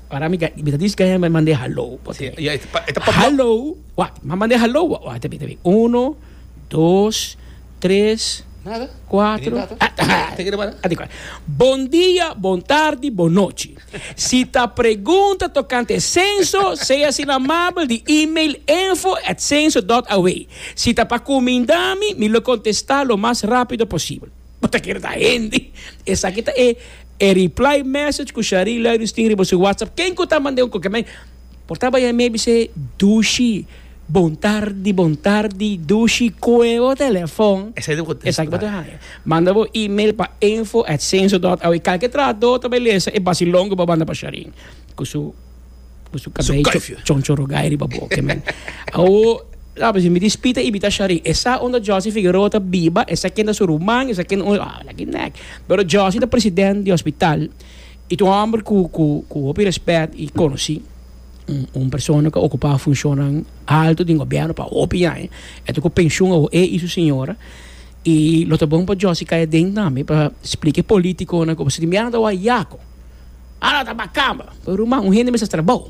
Para mi ga- mi ta dici gaya me mande hallo. Bo ta bin. Ya, e ta- e ta papia. Hallo, wak, mi a mande hallo. Wak, wak, ta bin, ta bin. Uno, dos, tres, Nada. kuatro. Bini tata. Ah, ah, Teken e banda. ah, dikor. Bon dia, bon tardi, bon nochi. Si ta pregunta tokante e senso, sea sin amabel di email info at censo dot aw. Si ta pa cuminda mi, mi lo contesta lo mas rapido posibel. Bo ta kere ta hende? Esaki ta e reply message ku Shari Luiders tin riba su WhatsApp. Ken ku ta mand'é un koke mei? Por ta baia mei bis'é, Dushi, bon tardi, bon tardi, Dushi, koe bo telefon. Esaki bo ta haña. Manda bo email pa info@censo.aw. Kalke trahadó ta bai lesa e basilon ku bo a manda pa Shari ku su. Cu su cabello choncho rugay riba boke, man. Awo, la pues mi dispita y mi ta shari. Esa unda Josie Figueroa ta biba, esa kenda su ruman, esa kenda un, ah, laki nek. Pero Josie ta president di hospital y ta un homber cu, cu, cu hopi respet y conoci. Un, un persona cu a ocupa funcionnan alto den gobierno pa hopi aña. E ta cu pensioen awo, e y su señora. Y lo ta bon pa Josie cay aden tambe pa splica e politiconan cu pasobra tin biaha nan ta wak yaco. Ara ta bakamba. Pero ruman, un hende mester trabao.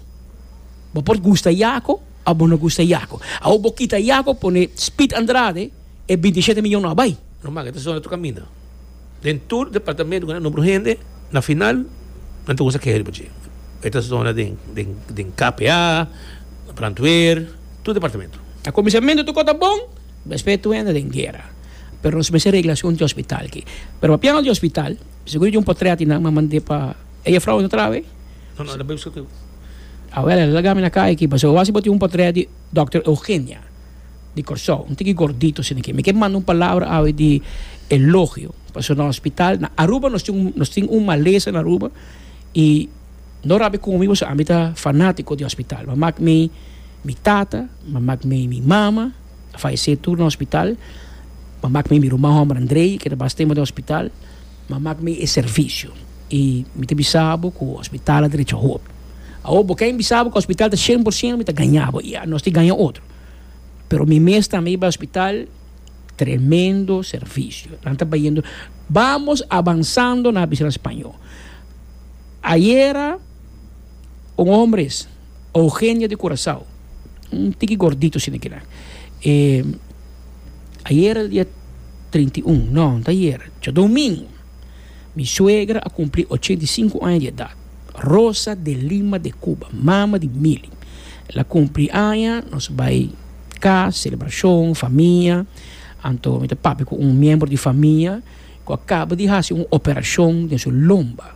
Bo por gusta Yaco o bo no gusta Yaco. Awo bo kita Yaco pone Speed Andrade, e binti shete miyon no a bai. Ruman, ke ta zona ta kaminda. Den tur departamento ku nan nombra un hende, na final nan ta kuminsa keha riba dje. E ta zona den, den, den KPA, brandweer, tur departamento. Na kuminsamentu tokor ta bon, despues tur hende den guera. Pero nos mester regla asuntu di hospital aki. Pero papian di hospital. Seguro di un por trea di nan, ma mand'é pa e jefrouw no traha awei. No, no, el a bai buska ku yo. Awel, el a laga mi na kai aki, pasobra wak si bo tin un por trea di Dòkter Eugenia di Kòrsou, un tiki gordito asina ke. Mi ke manda un palabra awe di elogio, pasobra na hospital, na Aruba nos tin un, nos tin un malesa na Aruba i no rabia ku mi pasobra ami ta fanátiko di hospital. Mi a mak mi mi tata, mi a mak mi mi mama. faesé tur na hospital, m'a mak mi mi ruman hòmber Andrei, ke ta bas tempu den hospital, m'a mak mi e servisio. I mi ta bisa bo ku hospital a drecha hopi. Awor bo ken bisa bo ku hospital ta shen por sento mi ta gaña bo, ya, nos tin gaña otro. Pero mi mes tambe i bai hospital, tremendo servisio. Nan ta bayendo, Vamos avanzando, nan a bisa nan spañó. Ayera un homber es. Eugenia di Curacao, un tiki gordito asina kila. E ayer el dia trinta i un, no, no ta ayer, cho domingo, mi suegra a cumpli ochenta i sinku aña di edat. Rosa de Lima de Cuba, mama di Mili. El a cumpli aña, nos bai cas, celebracion, famia. Anto mi ta papia cu un miembro di famia cu a caba di haci un operacion den su lomba.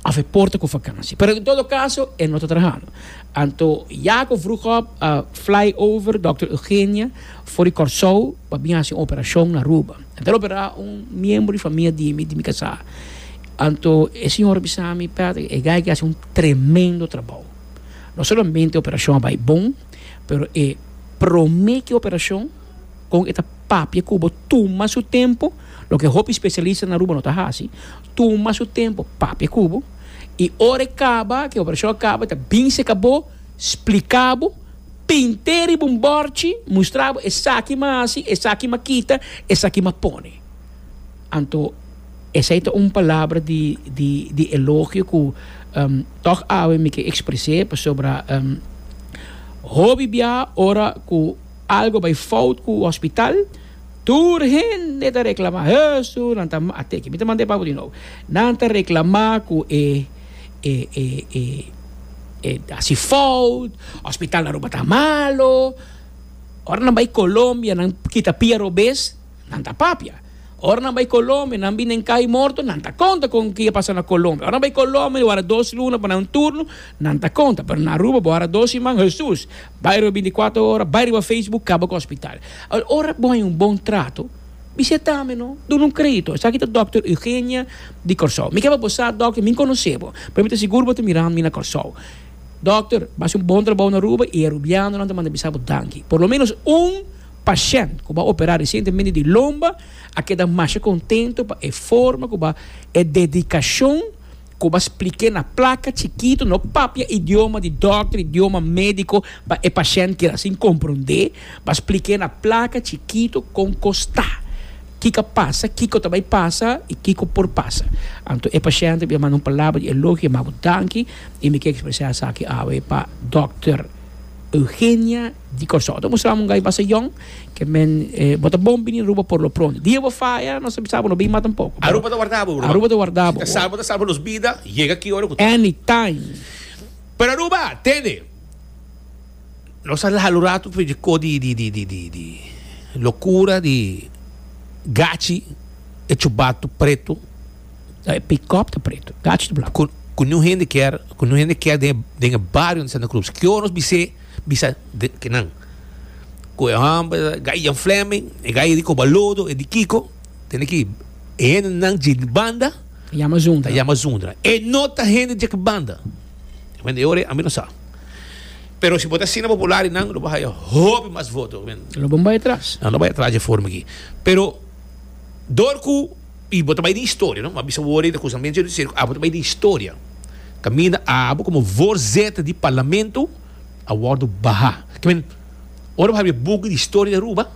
òf e porta ku vakansia. Pero en todo kaso e no ta trahando. Anto ya ku vroegop a fly over Dòkter Eugenia for di Kòrsou pa bin hasi un operashon na Aruba. A ta operá un miembro di famia di mi, di mi kasá. Anto e siñora bisa mi, Patrick, e gay ke hasi un tremendo trabou. No solamente e operashon a bai bon, pero e promé ki operashon kon e ta papia ku bo tuma su tempu, loke hopi spesialista na Aruba no ta hasi. tuma su tempo papia ku bo i ora e kaba ku e operashon a kaba e ta bin seka bo, splika bo, pinte riba un bòrchi, mustra bo esaki m'a hasi, esaki m'a kita, esaki m'a pone. Anto esei ta un palabra di di di elogio ku tòg awe mi ke ekspres'é pasobra hopi bia ora ku algu a bai fout ku hospital. Tur hende ta reklamá, Hesu, nan ta mata e. Mi ta manda e pabo di nou. Nan ta reklamá ku e, e, e, e, e hasi fout, hospital Aruba ta malo. Ora nan bai Colombia, nan kita pia robes, nan ta papia. Ora nan bai Colombia, nan bin den kai morto, nan ta konta kon ke a pasa na Colombia. Ora nan bai Colombia, bo a hara dos luna pa nan un turno, nan ta konta. Pero na Aruba, bo a hara dos siman, Hesus! Bairo e binti kuater ora, bai riba Facebook, kaba ku hospital. Awor ora bo hay un bon trato, bisha tambe no, dun'no un kredito. Esaki ta Dòkter Eugenia di Kòrsou. Mi kaba bo sa dòkter, mi nkonos'é bo, pero mi ta sigur bo ta mirando mi na Kòrsou. Dòkter, bo hasi un bon trabou na Aruba i e arubianonan ta manda bisa bo danki. Por lo menos un pashènt ku bo a operá resientemente di lomba a keda masha kontento pa e forma ku bo e dedikashon Koba spliké na plaka chikitu, no papia idioma di dòkter, idioma médiko pa e pashènt kier asin komprondé. Ba spliké na plaka chikitu kon kostá, kiko pasa, kiko ta bai pasa i kiko por pasa. Anto e pashènt a bin a manda un palabra di elogio, a manda bo danki i mi ke ekspresá esaki awe pa dòkter Eugenia. Di Kòrsou. Ta mustra un gai basta yòn ke men eh, bo ta bon bini Aruba por lo pronto. Dia bo faya, nos ta bisa bo lo bin mata un poko. Aruba ta warda bo, Aruba ta warda bo. Si ta salba, ta salba nos bida, yega aki ora ku ta. Anytime. Pero Aruba, tende, nos a laha lo ratu for di kos di lokura, di gachi, e chubatu pretu. Ta e pikòp ta pretu, gachi ta blanku. Ku niun hende kier, ku niun hende kier den e den e bario di Santa Cruz. Ke ora nos bis'é, bisa den ke nan. Ku e hòmber gai Jan Flemming, e gai Rico Balodo, e di Kiko, tene ki e hendenan dje di banda, Ta yama ta Zundra. yama Zundra. E no ta hende dje ki banda. Kumen e ora ami no sa. Pero si bo ta asina popular di nan, lo bo a haya hopi mas voto, kumen. Lo bo bai atras. Nan lo bai atras dje forma aki. Pero dor ku. Y bo ta bay den historia, no? Bo a bisa wor e ta cusa men cierto cierto, abo ta bay den historia. Caminda abo como voorzitter di Parlamento a wordo baha. Ki men, ora bo habi e buki di historia di Aruba,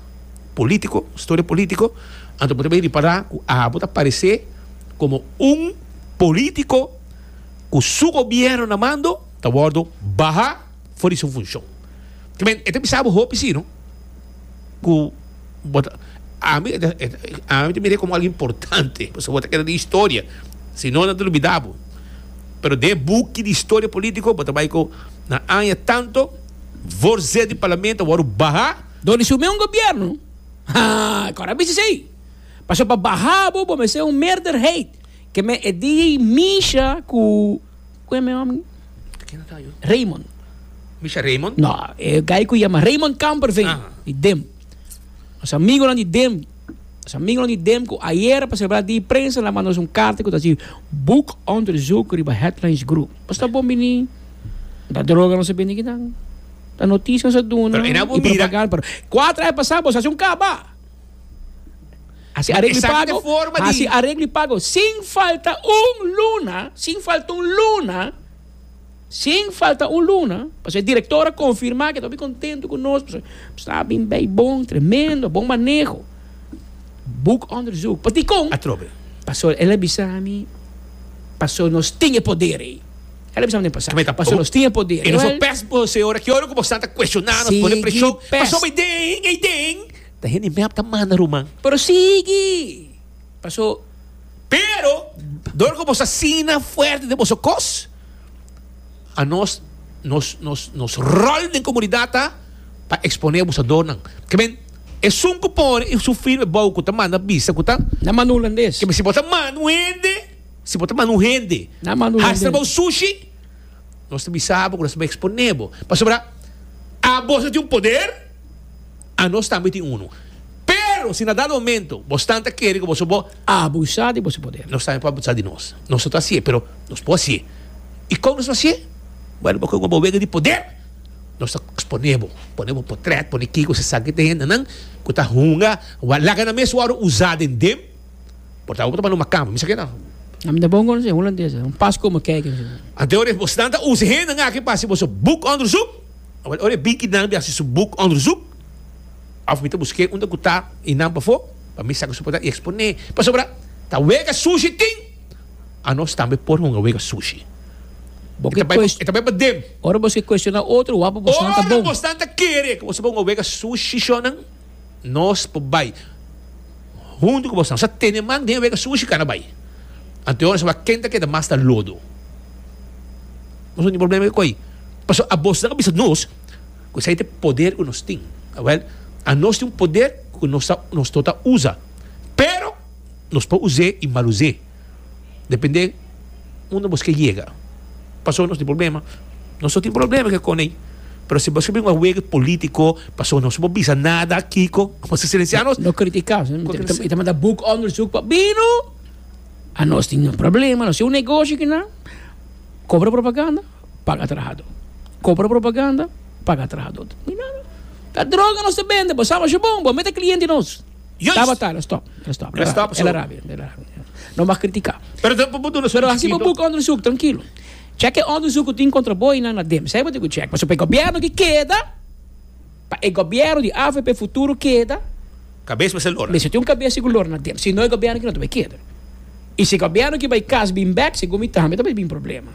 politico, historia politico, anto bo ta bay ripara cu abo ta parece como un politico cu su gobierno na mando ta wordo baha for di su funcion. Ki men, e ta bisa abo hopi si, no? ku bo ta ami ami ta mira e komo algu importante pasobra bo ta keda di historia si no nan ta lubida bo pero den e buki di historia politico bo ta bai ku na aña tanto vorced di parlamento a wòrdu baha Dor di sumé un gobierno haa kòrda a bisa esei pasobra pa baha bo bo mester un meerderheid ke men e di misha ku. ku e mihom ni? Raymond. Misha Raymond? No, e guy ku yama Raymond Kamperveen di dem. Nos amigonan di dem. Nos amigonan di dem ku ayer pa selebra di prensa nan manda nos un karta ku ta si Boek onderzoek riba Headlines Group. Nos ta bon bini. No ta droga nos a bini kinan. Ta noticia nos a duna i propaganda. Pero kuater ai pasá bos hasi un kaba. Hasi areglo i pago, hasi areglo i pago sin falta un luna, sin falta un luna, sin falta un luna, pasobra e director a confirma cu e ta hopi contento cu nos, pasobra nos a bin bay bon, tremendo, bon maneho, boek onderzoek, pa dicon? Atrobe. Pasobra el a bisa mi, pasobra nos tin e poder ey, el a bisa mi den pasaje, pasobra nos tin e poder. Y nos a pes bo, señora, ki ora cu bo sta ta cuestiona nos, pone presion, pasobra y den, y den. Ta hende i mep ta manda ruman. Pero sigui! Paso. Pero, dor ku boso asina fuerte den boso kos, anos nos nos nos rol den komunidat ta pa eksponé abusadornan. Kebien esun ku por i sufri riba e bou ku ta manda bisa ku ta. Na manda un landes. Kebien si bo ta manda un hende, si bo ta manda un hende. Na manda un landes. Hasta bou sushi, nos ta bisa bo ku nos ta eksponé bo. Pasobra, a boso tin un poder. Anos tambe tin unu. Pero si na dado momento bo stan ta kere ku boso bo. Abusa di boso poder. Nos tambe por abusa di nos. Nos no ta hasié, pero nos por hasié. I kon nos lo hasié? Bueno, bo koko bo wega di poder, nos ta eksponé bo, pone bo potrèt, pone kiko se sa ki ta hendenan ku ta hunga wòrdu laga nan mes wòrdu usá den dem. Por ta bo ta banda un makamba, mi sa ke nan. Ami ta bon konosé un holandés, un pas komo kei. Anto ora, bo stan ta usa hendenan aki pa hasi boso buk òndersuk? Awor ora e bikinan hasi su boek onderzoek of mi ta buske unda ku ta i nan pafó pa mi saka su portat i eksponé pasobra ta wega sushi tin anos tambe por hunga wega sushi bo ta bai e ta bai paden. Ora bos ke kueshoná otro wak pa bosnan ta bon. Ora bosnan ta kere ku bo tabata hunga wega sushi shónan. Nos por bai huntu ku boso. Nos a tene man den wega su shikana bai. Anto nos a wak ken ta keda mas na lodo. Nos no tin problema di koi. Pasobra abosnan a bisa nos ku esei ta e poder ku nos tin. Awel, a nos tin un poder ku nos ta, nos to ta usa. Pero nos por us'é i mal us'é. depende unda bos ke yega paso nos tin problema nos no tin problema ke konei pero si bos ke bin a wega e politico paso nos bo bisa nada kiko bos a silensia nos no critica y ta manda boek onderzoek pa bino a nos tin problema nos tin un negoshi kinan cobra propaganda paga trahado cobra propaganda paga trahado mi nada ta droga nos ta bende bo sa bo shi bon bo mete cliente nos Juist. Tabata, lo stop. Lo stop. Lo stop, so. Ela rabia. Ela rabia. No mas kritika. Pero ta bo duna su Pero hasi bo chiquito. buka onderzoek, trankilo. Chek e onderzoek ku tin kontra bo i nan na dem. Sa e bo tin ku chek. Pasobra e gobièrnu ki keda, pa e gobièrnu di avp futuro keda, Kabes mester lora. mester tin un kabes si ku lor na dem. Si no e gobièrnu ki no ta bai keda. I si e gobièrnu ki bai kas bin bèk, segun mi tambe ta bai bin problema.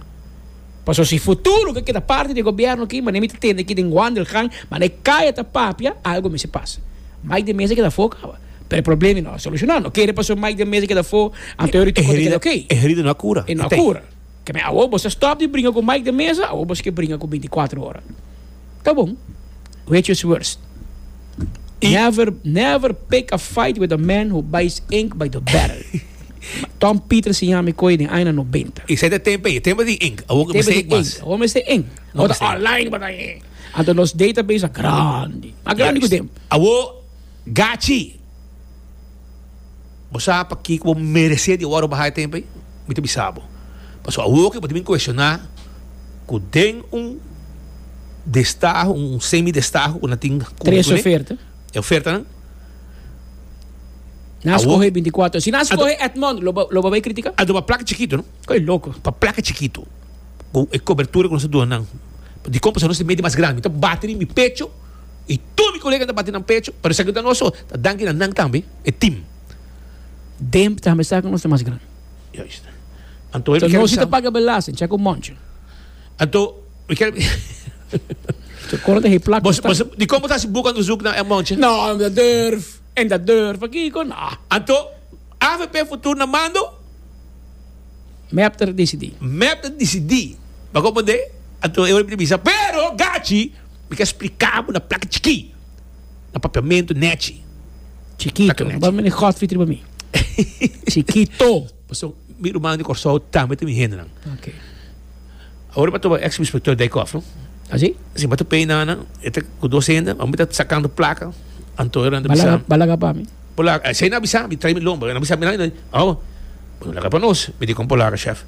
Paso si futuro ke keda parti di e gobierno aki, manera mi ta tende aki den Wandelgang, manera e kaya ta papia, algo mester pasa. Mike de Meza keda afó kaba, pero e problema i no a solushona. No kere paso Mike de Meza keda afó, anto e Rutte Kotto keda ok. E herida no a kura. E no a kura. Keme awor bo sa stop di bringa ku Mike de Meza, awor bo si ke bringa ku bintikwatro ora. Ta bon, which is worse? Never, never pick a fight with a man who buys ink by the barrel. Tom Peter siña mi koe den aña nobenta. Esei ta tempo ei, tempo di ink. Awor ka mester ink mas. Awor mester ink. Awor ta online pa ta ink. Anto nos database a grandi. A grandi ku tempo. Awor gachi. Bo sa pakiko bo meresé di wòrdu bahá e tempu ei? Mi ta bisa bo, pasobra awor ku bo ta bin kuestioná ku den un destaho, un semidestaho ku nan tin kumpli ku e ofertanan, Nan skohe binti kuater. Si nan skohe Edmond, lo bo bai kritika? Ando pa plaka chikitu, no? Koe loko. Pa plaka chikitu, ku e kobertura ku nos ta duna nan. Dikon pasobra nos ta mete mas grandi? Mi ta bati riba mi pecho. Y tur mi colega ta bati nan pecho pa esaki ta nos so, ta danki na nan tambe, e team. Demp tambe sa cu nos ta mas gran. Juist. Anto mi kel. Nos ta paga belasting, check un moncho. Anto mi kel. Su coro ta he plak. Bos, bos, di como ta haci boca onderzoek na e moncho? No, no ta durf. En ta durf akico, no. Anto, avp futur na mando? Mep ta decidi. Mep ta decidi. Paco pende, anto e ora mi ta bisa, pero gachi. Mi ta spliká bo na plaka chikí, na papiamentu nechi. Chikitu, bo ta mira Godfrey riba mi. Chikitu. Pasobra mi rumannan di Kòrsou tambe ta mi hendenan. Ok. Awor e patrón èks subinspektor Dijkhof, no? Así? Si, bo ta pei nana, e ta ku dos hende, bo mi ta sakando plaka, anto e renta Ba laga, bisam. ba laga pa mi. Bo laga, esei na bisa mi, traimi lomba, e na bisa mi nan, e na, awo, bo no laga pa nos, mi di kon bo laga, shèf.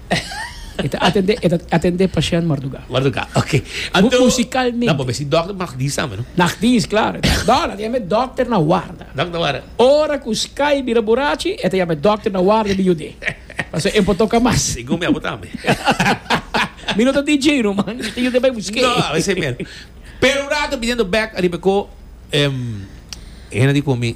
E ta atendé, e ta atendé pashènt mardugá. Mardugá, ok. Anto. Musikalmente. Nan por mester si dòkter nagdis tambe, no? Nagdis, klar. E ta, dò, nan ta yama e dòkter na warda. Dòkter na warda. Ora ku Sky bira burachi, e ta yama e dòkter na warda di yud'é. Pasobra e no por toka mas. Sigun mi abo tambe. Mi no ta DJ no, ma mi ta yud'é bai busk'é. No, bai esei mero. Pero un rato, biniendo bèk ariba e kó, hende a di ku mi.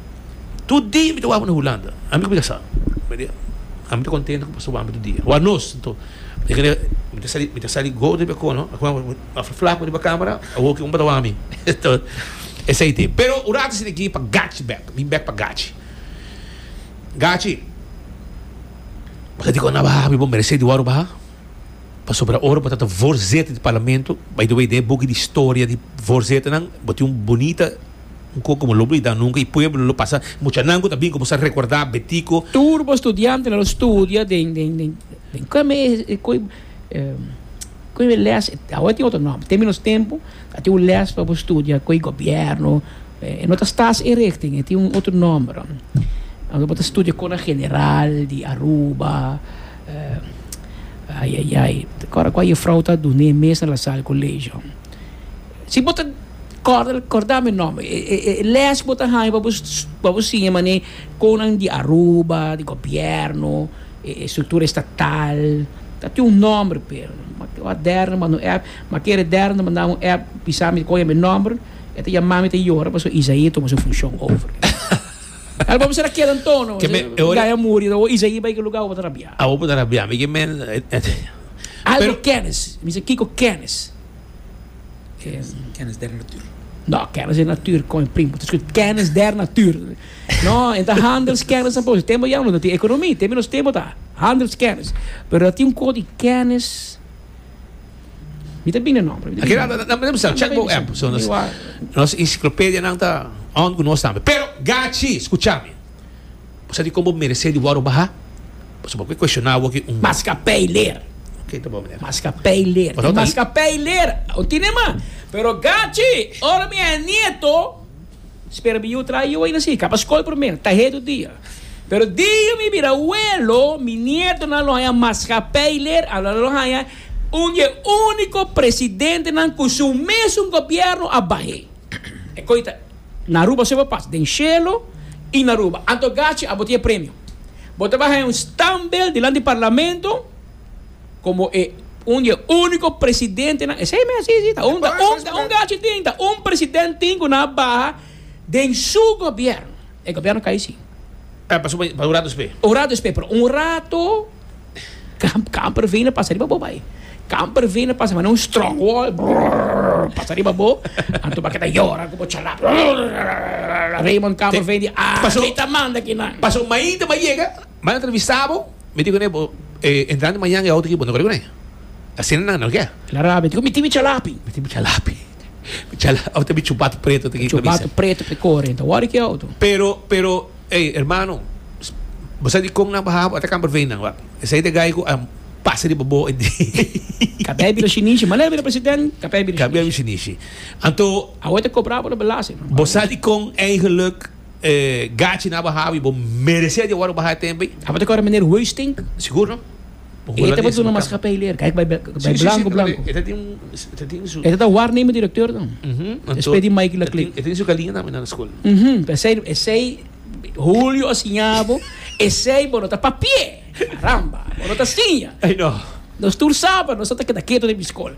Tur dia mi ta wawba na Hulanda. Ami ku mi ta sa. Ami ta kontento ku mi pasa wawba tur dia. Wak nos. Nto, e ke dia mi ta sali, mi ta sali gordo riba kono, a kuma mi ta hasi flaku riba kamera, awo ki un pa ta wawba mi. Nto, esei te. Pero un ratu esei te ki pa gachi bek. Mi bek pa gachi. Gachi, bo ta dikon na baha mi, bo merese di wòrdu baha. Pasobra ora bo ta ta vorzeta di parlamento, by the way, den e buki di historia di vorzetenan bo tin un bunita. Nco como lo blida nunca y pueblo lo pasa mucha nan cu ta bin como sa recorda betico. Tur bo studiantenan lo studia den den den den cu me e cu cu e les awor tin otro nomber tem nos tempo a tin un les pa bo studia cu e gobierno e no ta stas e richting e tin un otro nomber aunke bo ta studia con a general di Aruba ayayay ta acorda cu a jefrouw ta dune mes na Lasalle colegio Si bo ta corda corda mi nomber e les bo ta haya pa bo pa bo siña manera con nan di Aruba di gobierno e estructura estatal ta tin un nomber p'e aderna manda un app ma kere aderna manda un app bisa mi coge mi nomber e ta yama mi ta yora pasobra Isaí a tuma su funcion over a bo bisa ta keda antono gaya muri ta hoja Isaí bay ki lugar awor bo ta rabia awor bo ta rabia mi ke men Aldo Kennis mi sa Kiko Kennis. Kennis der natuur. No, kennis der natuur kon prim. Het is goed, kennis der natuur. No, en ta handelskennis en boos. Temo jammer dat die economie, temo nos temo ta handelskennis. Pero dat die een koor die kennis. Wie te binnen nombre? Oké, dan dan dan dan check bo app. So nos nos enciclopedia dan ta on con nos tambe. Pero gachi, escuchame. Bo sa di kon bo meresé di wòrdu bahá? Pasobra ku e kueshoná bo ki un. Maskapei leer. Ke ta bon manera? Maskapei leer. Di maskapei leer o tine ma. Pero gachi, ora mi a e nieto, spera mi yu traha yu aina si. Kaba skol primer, ta hedu dia. Pero dia mi bira awelo, mi nietonan lo haña maskapei leer, a lo haña un di e úniko presidentenan ku su mesun gobièrnu a bah'é. E koi ta. Na Aruba so bo pas den shelo y na Aruba. Anto gachi abo tin e premio. Bo ta baha en un standbeeld dilanti parlamento como e un di e unico presidentenan, esey mes asi si, ta un, ta un, ta un gachi tin, ta un president tin cu nan a baha den su gobierno. E gobierno cay si. Pasobra un rato despues. Un rato despues, pero un rato Camper vene pasa riba bo bay. Camper vene pasa manda un strong wall brrrr pasa riba bo. Anto bo a keda yora ku bo chalap brrrr. Raymond Camper vene di Paso- aki ta manda aki nan. Paso mainta bo a yega, bo a entrevista bo, mi di kuné bo e entrada di mañana e auto aki bo no kore kuné. Asina nan no ke. El a rabia, di ku mi tin mi chalapi. Mi tin mi chalapi. Chala ote bi chupatu preto te kiko bisa. Chupatu preto te kore enta wari ki auto. Pero pero ey hermano bo sa di kon nan baha bo ata kan parvei nan wak esey te gai ku a pasa riba bo e di. Kabei bira shinishi manera bira president kabei bira shinishi. Kabei bira shinishi anto Awe te kobra por lo belasting no. Bo sa di kon eigenlik e gachi nan a baha i bo meresé di awor bo baha e tembe. Abo te kore meneer Huiztink? Sigur no. E ta batu na maskapij ler, kijk bai blanko blanko. E ta tin e ta tin su. E ta warneme direkteur dan. E spet di Mikey la klik. E tin su galinha tambe na skol. Mhm, p'esei esei Julio a siña bo, esei bo no ta papie. Caramba, bo no ta siña. Nos tur sa pa nos no ta keda keto den mi skol.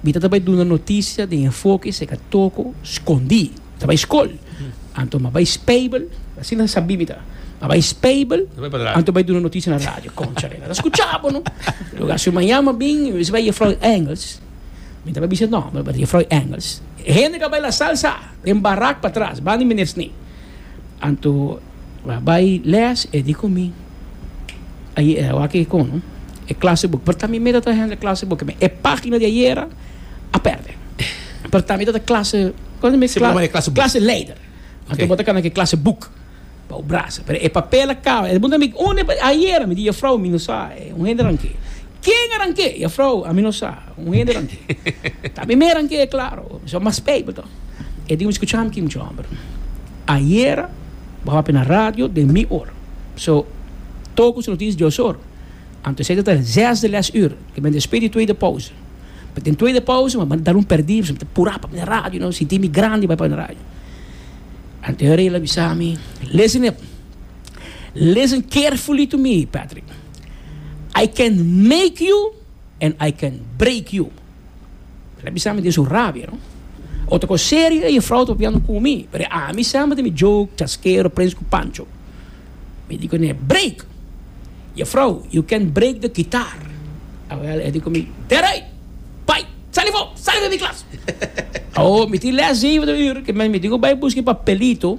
Bita ta bai duna notisia den enfoke seca toco scondí. Mi ta bai scol, anto ma bai speibel, asina sabí mi ta, ma bai speibel, anto bai duna notisia na radio. Concha rena, ta scucha bo no? Luga su manjá ma bin, mi bisa bai Jefrou Engels, mi ta bai bisa nomber, but Jefrou Engels, e hende ca bai la salsa den barak patras, bandi meneer Sni. Anto. M'a bai lès, e di ku mi, Ayera e awak e kono e klasebuk. Porta mi meda ta hende klasebuk, mi e página di ayera a pèrdè. Porta mi ta ta klase, kon ta mi? Siempre bo e klasebuk. Klase leider. Anto bo ta kana ku e klasebuk pa bo brasa. Pero e papel a kaba. E puntra mi, Unda e papel? Ayera, mi di, Yafrou, mi no sa. Un hendenan ke. Ken a nan ke? Yafrou, ami no sa. Un hendenan ki ta bimeran ke klaro so mas peipe to. E di un skucháme ki muchu hòmber. Ayera bo hòpi na radio den mi or. So tou ku su noticia dios or. Anto esei tabata zes de lès ür. Ke men despedí di tweede pause. But den tweede pause men a dal un perdí pasobra mi ta purá pa bini radio no. Sintí mi grandi bai pa bini radio. Anto e rei la bisa mi, Listen him. Listen carefully to me Patrick. I can make you. and I can break you. El a bisa mi den su rabia, no? Otro cos serio ey vrouw ta papiando cu mi, pero a mi semper ta mi joke, chasquero, prens cu Pancho. Mi di cu ne, Break! E vrouw, you can break the guitar. Awel e di cu mi, That right! Bai, sali afo, sali den mi klas! Awo, mi tin les zeven de uur, ke men mi di cu bai buska e papelito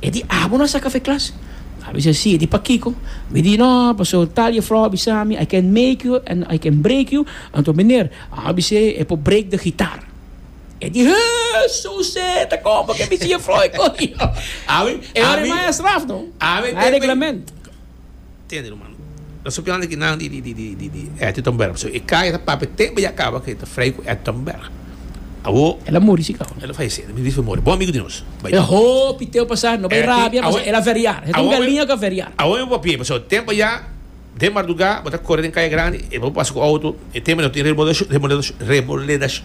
E di abo no a sa kafé klas? A bisa sí. E di pakiko? Mi di no, pasobra tal jefrouw a bisa mi, I can make you and I can break you. Anto meneer, a bisa e, e por break de gitar. E di hee, su se ta kon paken mi si jefrouw e koyo. Ami, ami. E ora e maestra af no. Ami. Nan e reglamento. Tende no mano. Ta sopi nan aki nan di Ettingtonberg pasobra e kaya ta papia te baya kaba ke ta frei ku Ettingtonberg. Awo. El a muri si ka? El a falese. Mi bisti mori. Bon amigu di nos. Bai. E hopi teo pasa no bai rabia pasobra el a veriar. Heta un galinha ku a veriar. Awor mi papia pasobra te baya den marduga bo ta kore den kaya grandi e bo pasa ku outo e te mene tin remodelacion remodelacion.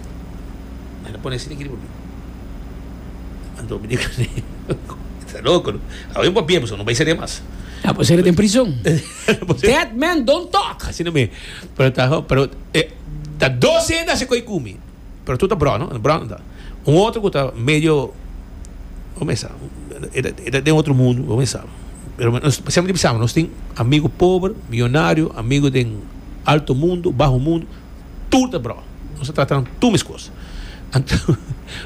M'a pone asina aki riba mi. Anto mi di kuné, E ta loko no. Awe mi por bia boso, no bai seria mas. A por seria den prizon. Dead men don't talk. Asina me. Pero ta, pero e ta dos hende haci koe ku mi. Pero tur ta brò no, brò nan ta. Un otro ku ta medio, bai mesa, e ta, e ta den otro mundu, bai mesa. Pero nos siempre bisa nos tin amigu pober, millonario, amigu den alto mundu, baho mundu. tur ta brò. Nos ta trata nan tur meskos. Anto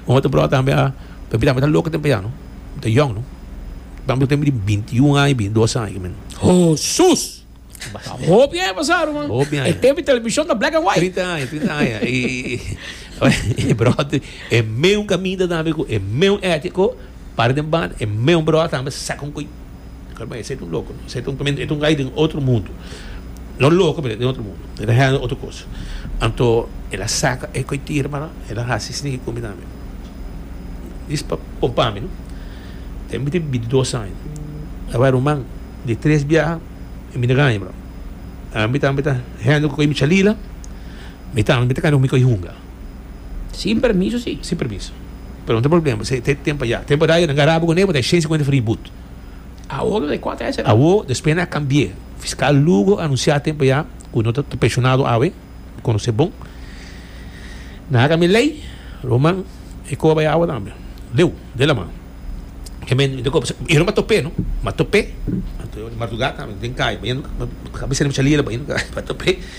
un otro brò tambe a papia tambe ta loke den p'eya no, e ta yòn no. Tambe lo tengo di binti i un aña, binti i dos aña aki men. Hosus! Ta hopi aña pasá ruman. Hopi aña. E tempu televishon ta black and white. Trinta aña, trinta aña. I e brò tambe e meun kaminda tambe ku e meun ètiko para den banda. E meun brò tambe saka un ko'i. Kos man esei ta un loko no esei ta un tormento e ta un gai den otro mundo no loko pero e den otro mundo e ta hende otro kos anto el a saka e koe tira para el a hasi sniky komi tambe dis pa kon pa mi no tem mi tin bintidos aña a bai ruman di tres biaha e mi na gaña bro a mi tambe ta hende ku koe mi chalila mi tambe mi ta kami ku mi koe hunga Sin permiso si? sin permiso pero no ta problema esei tem pa ya tem pa radio nan ga rabi kuné bo ta e shen sikuenta fri but. Awo despues na cambi'e. Fiscal Lugo anuncia tempo ya cu no ta pensionado awe, mi conoce bon. Na haga mi ley, Roman e coba ya awe tambe. Leu, den laman. E no m'a top'e no, m'a top'e, m'a top'e di martugada tambe den caya, m'a top'e.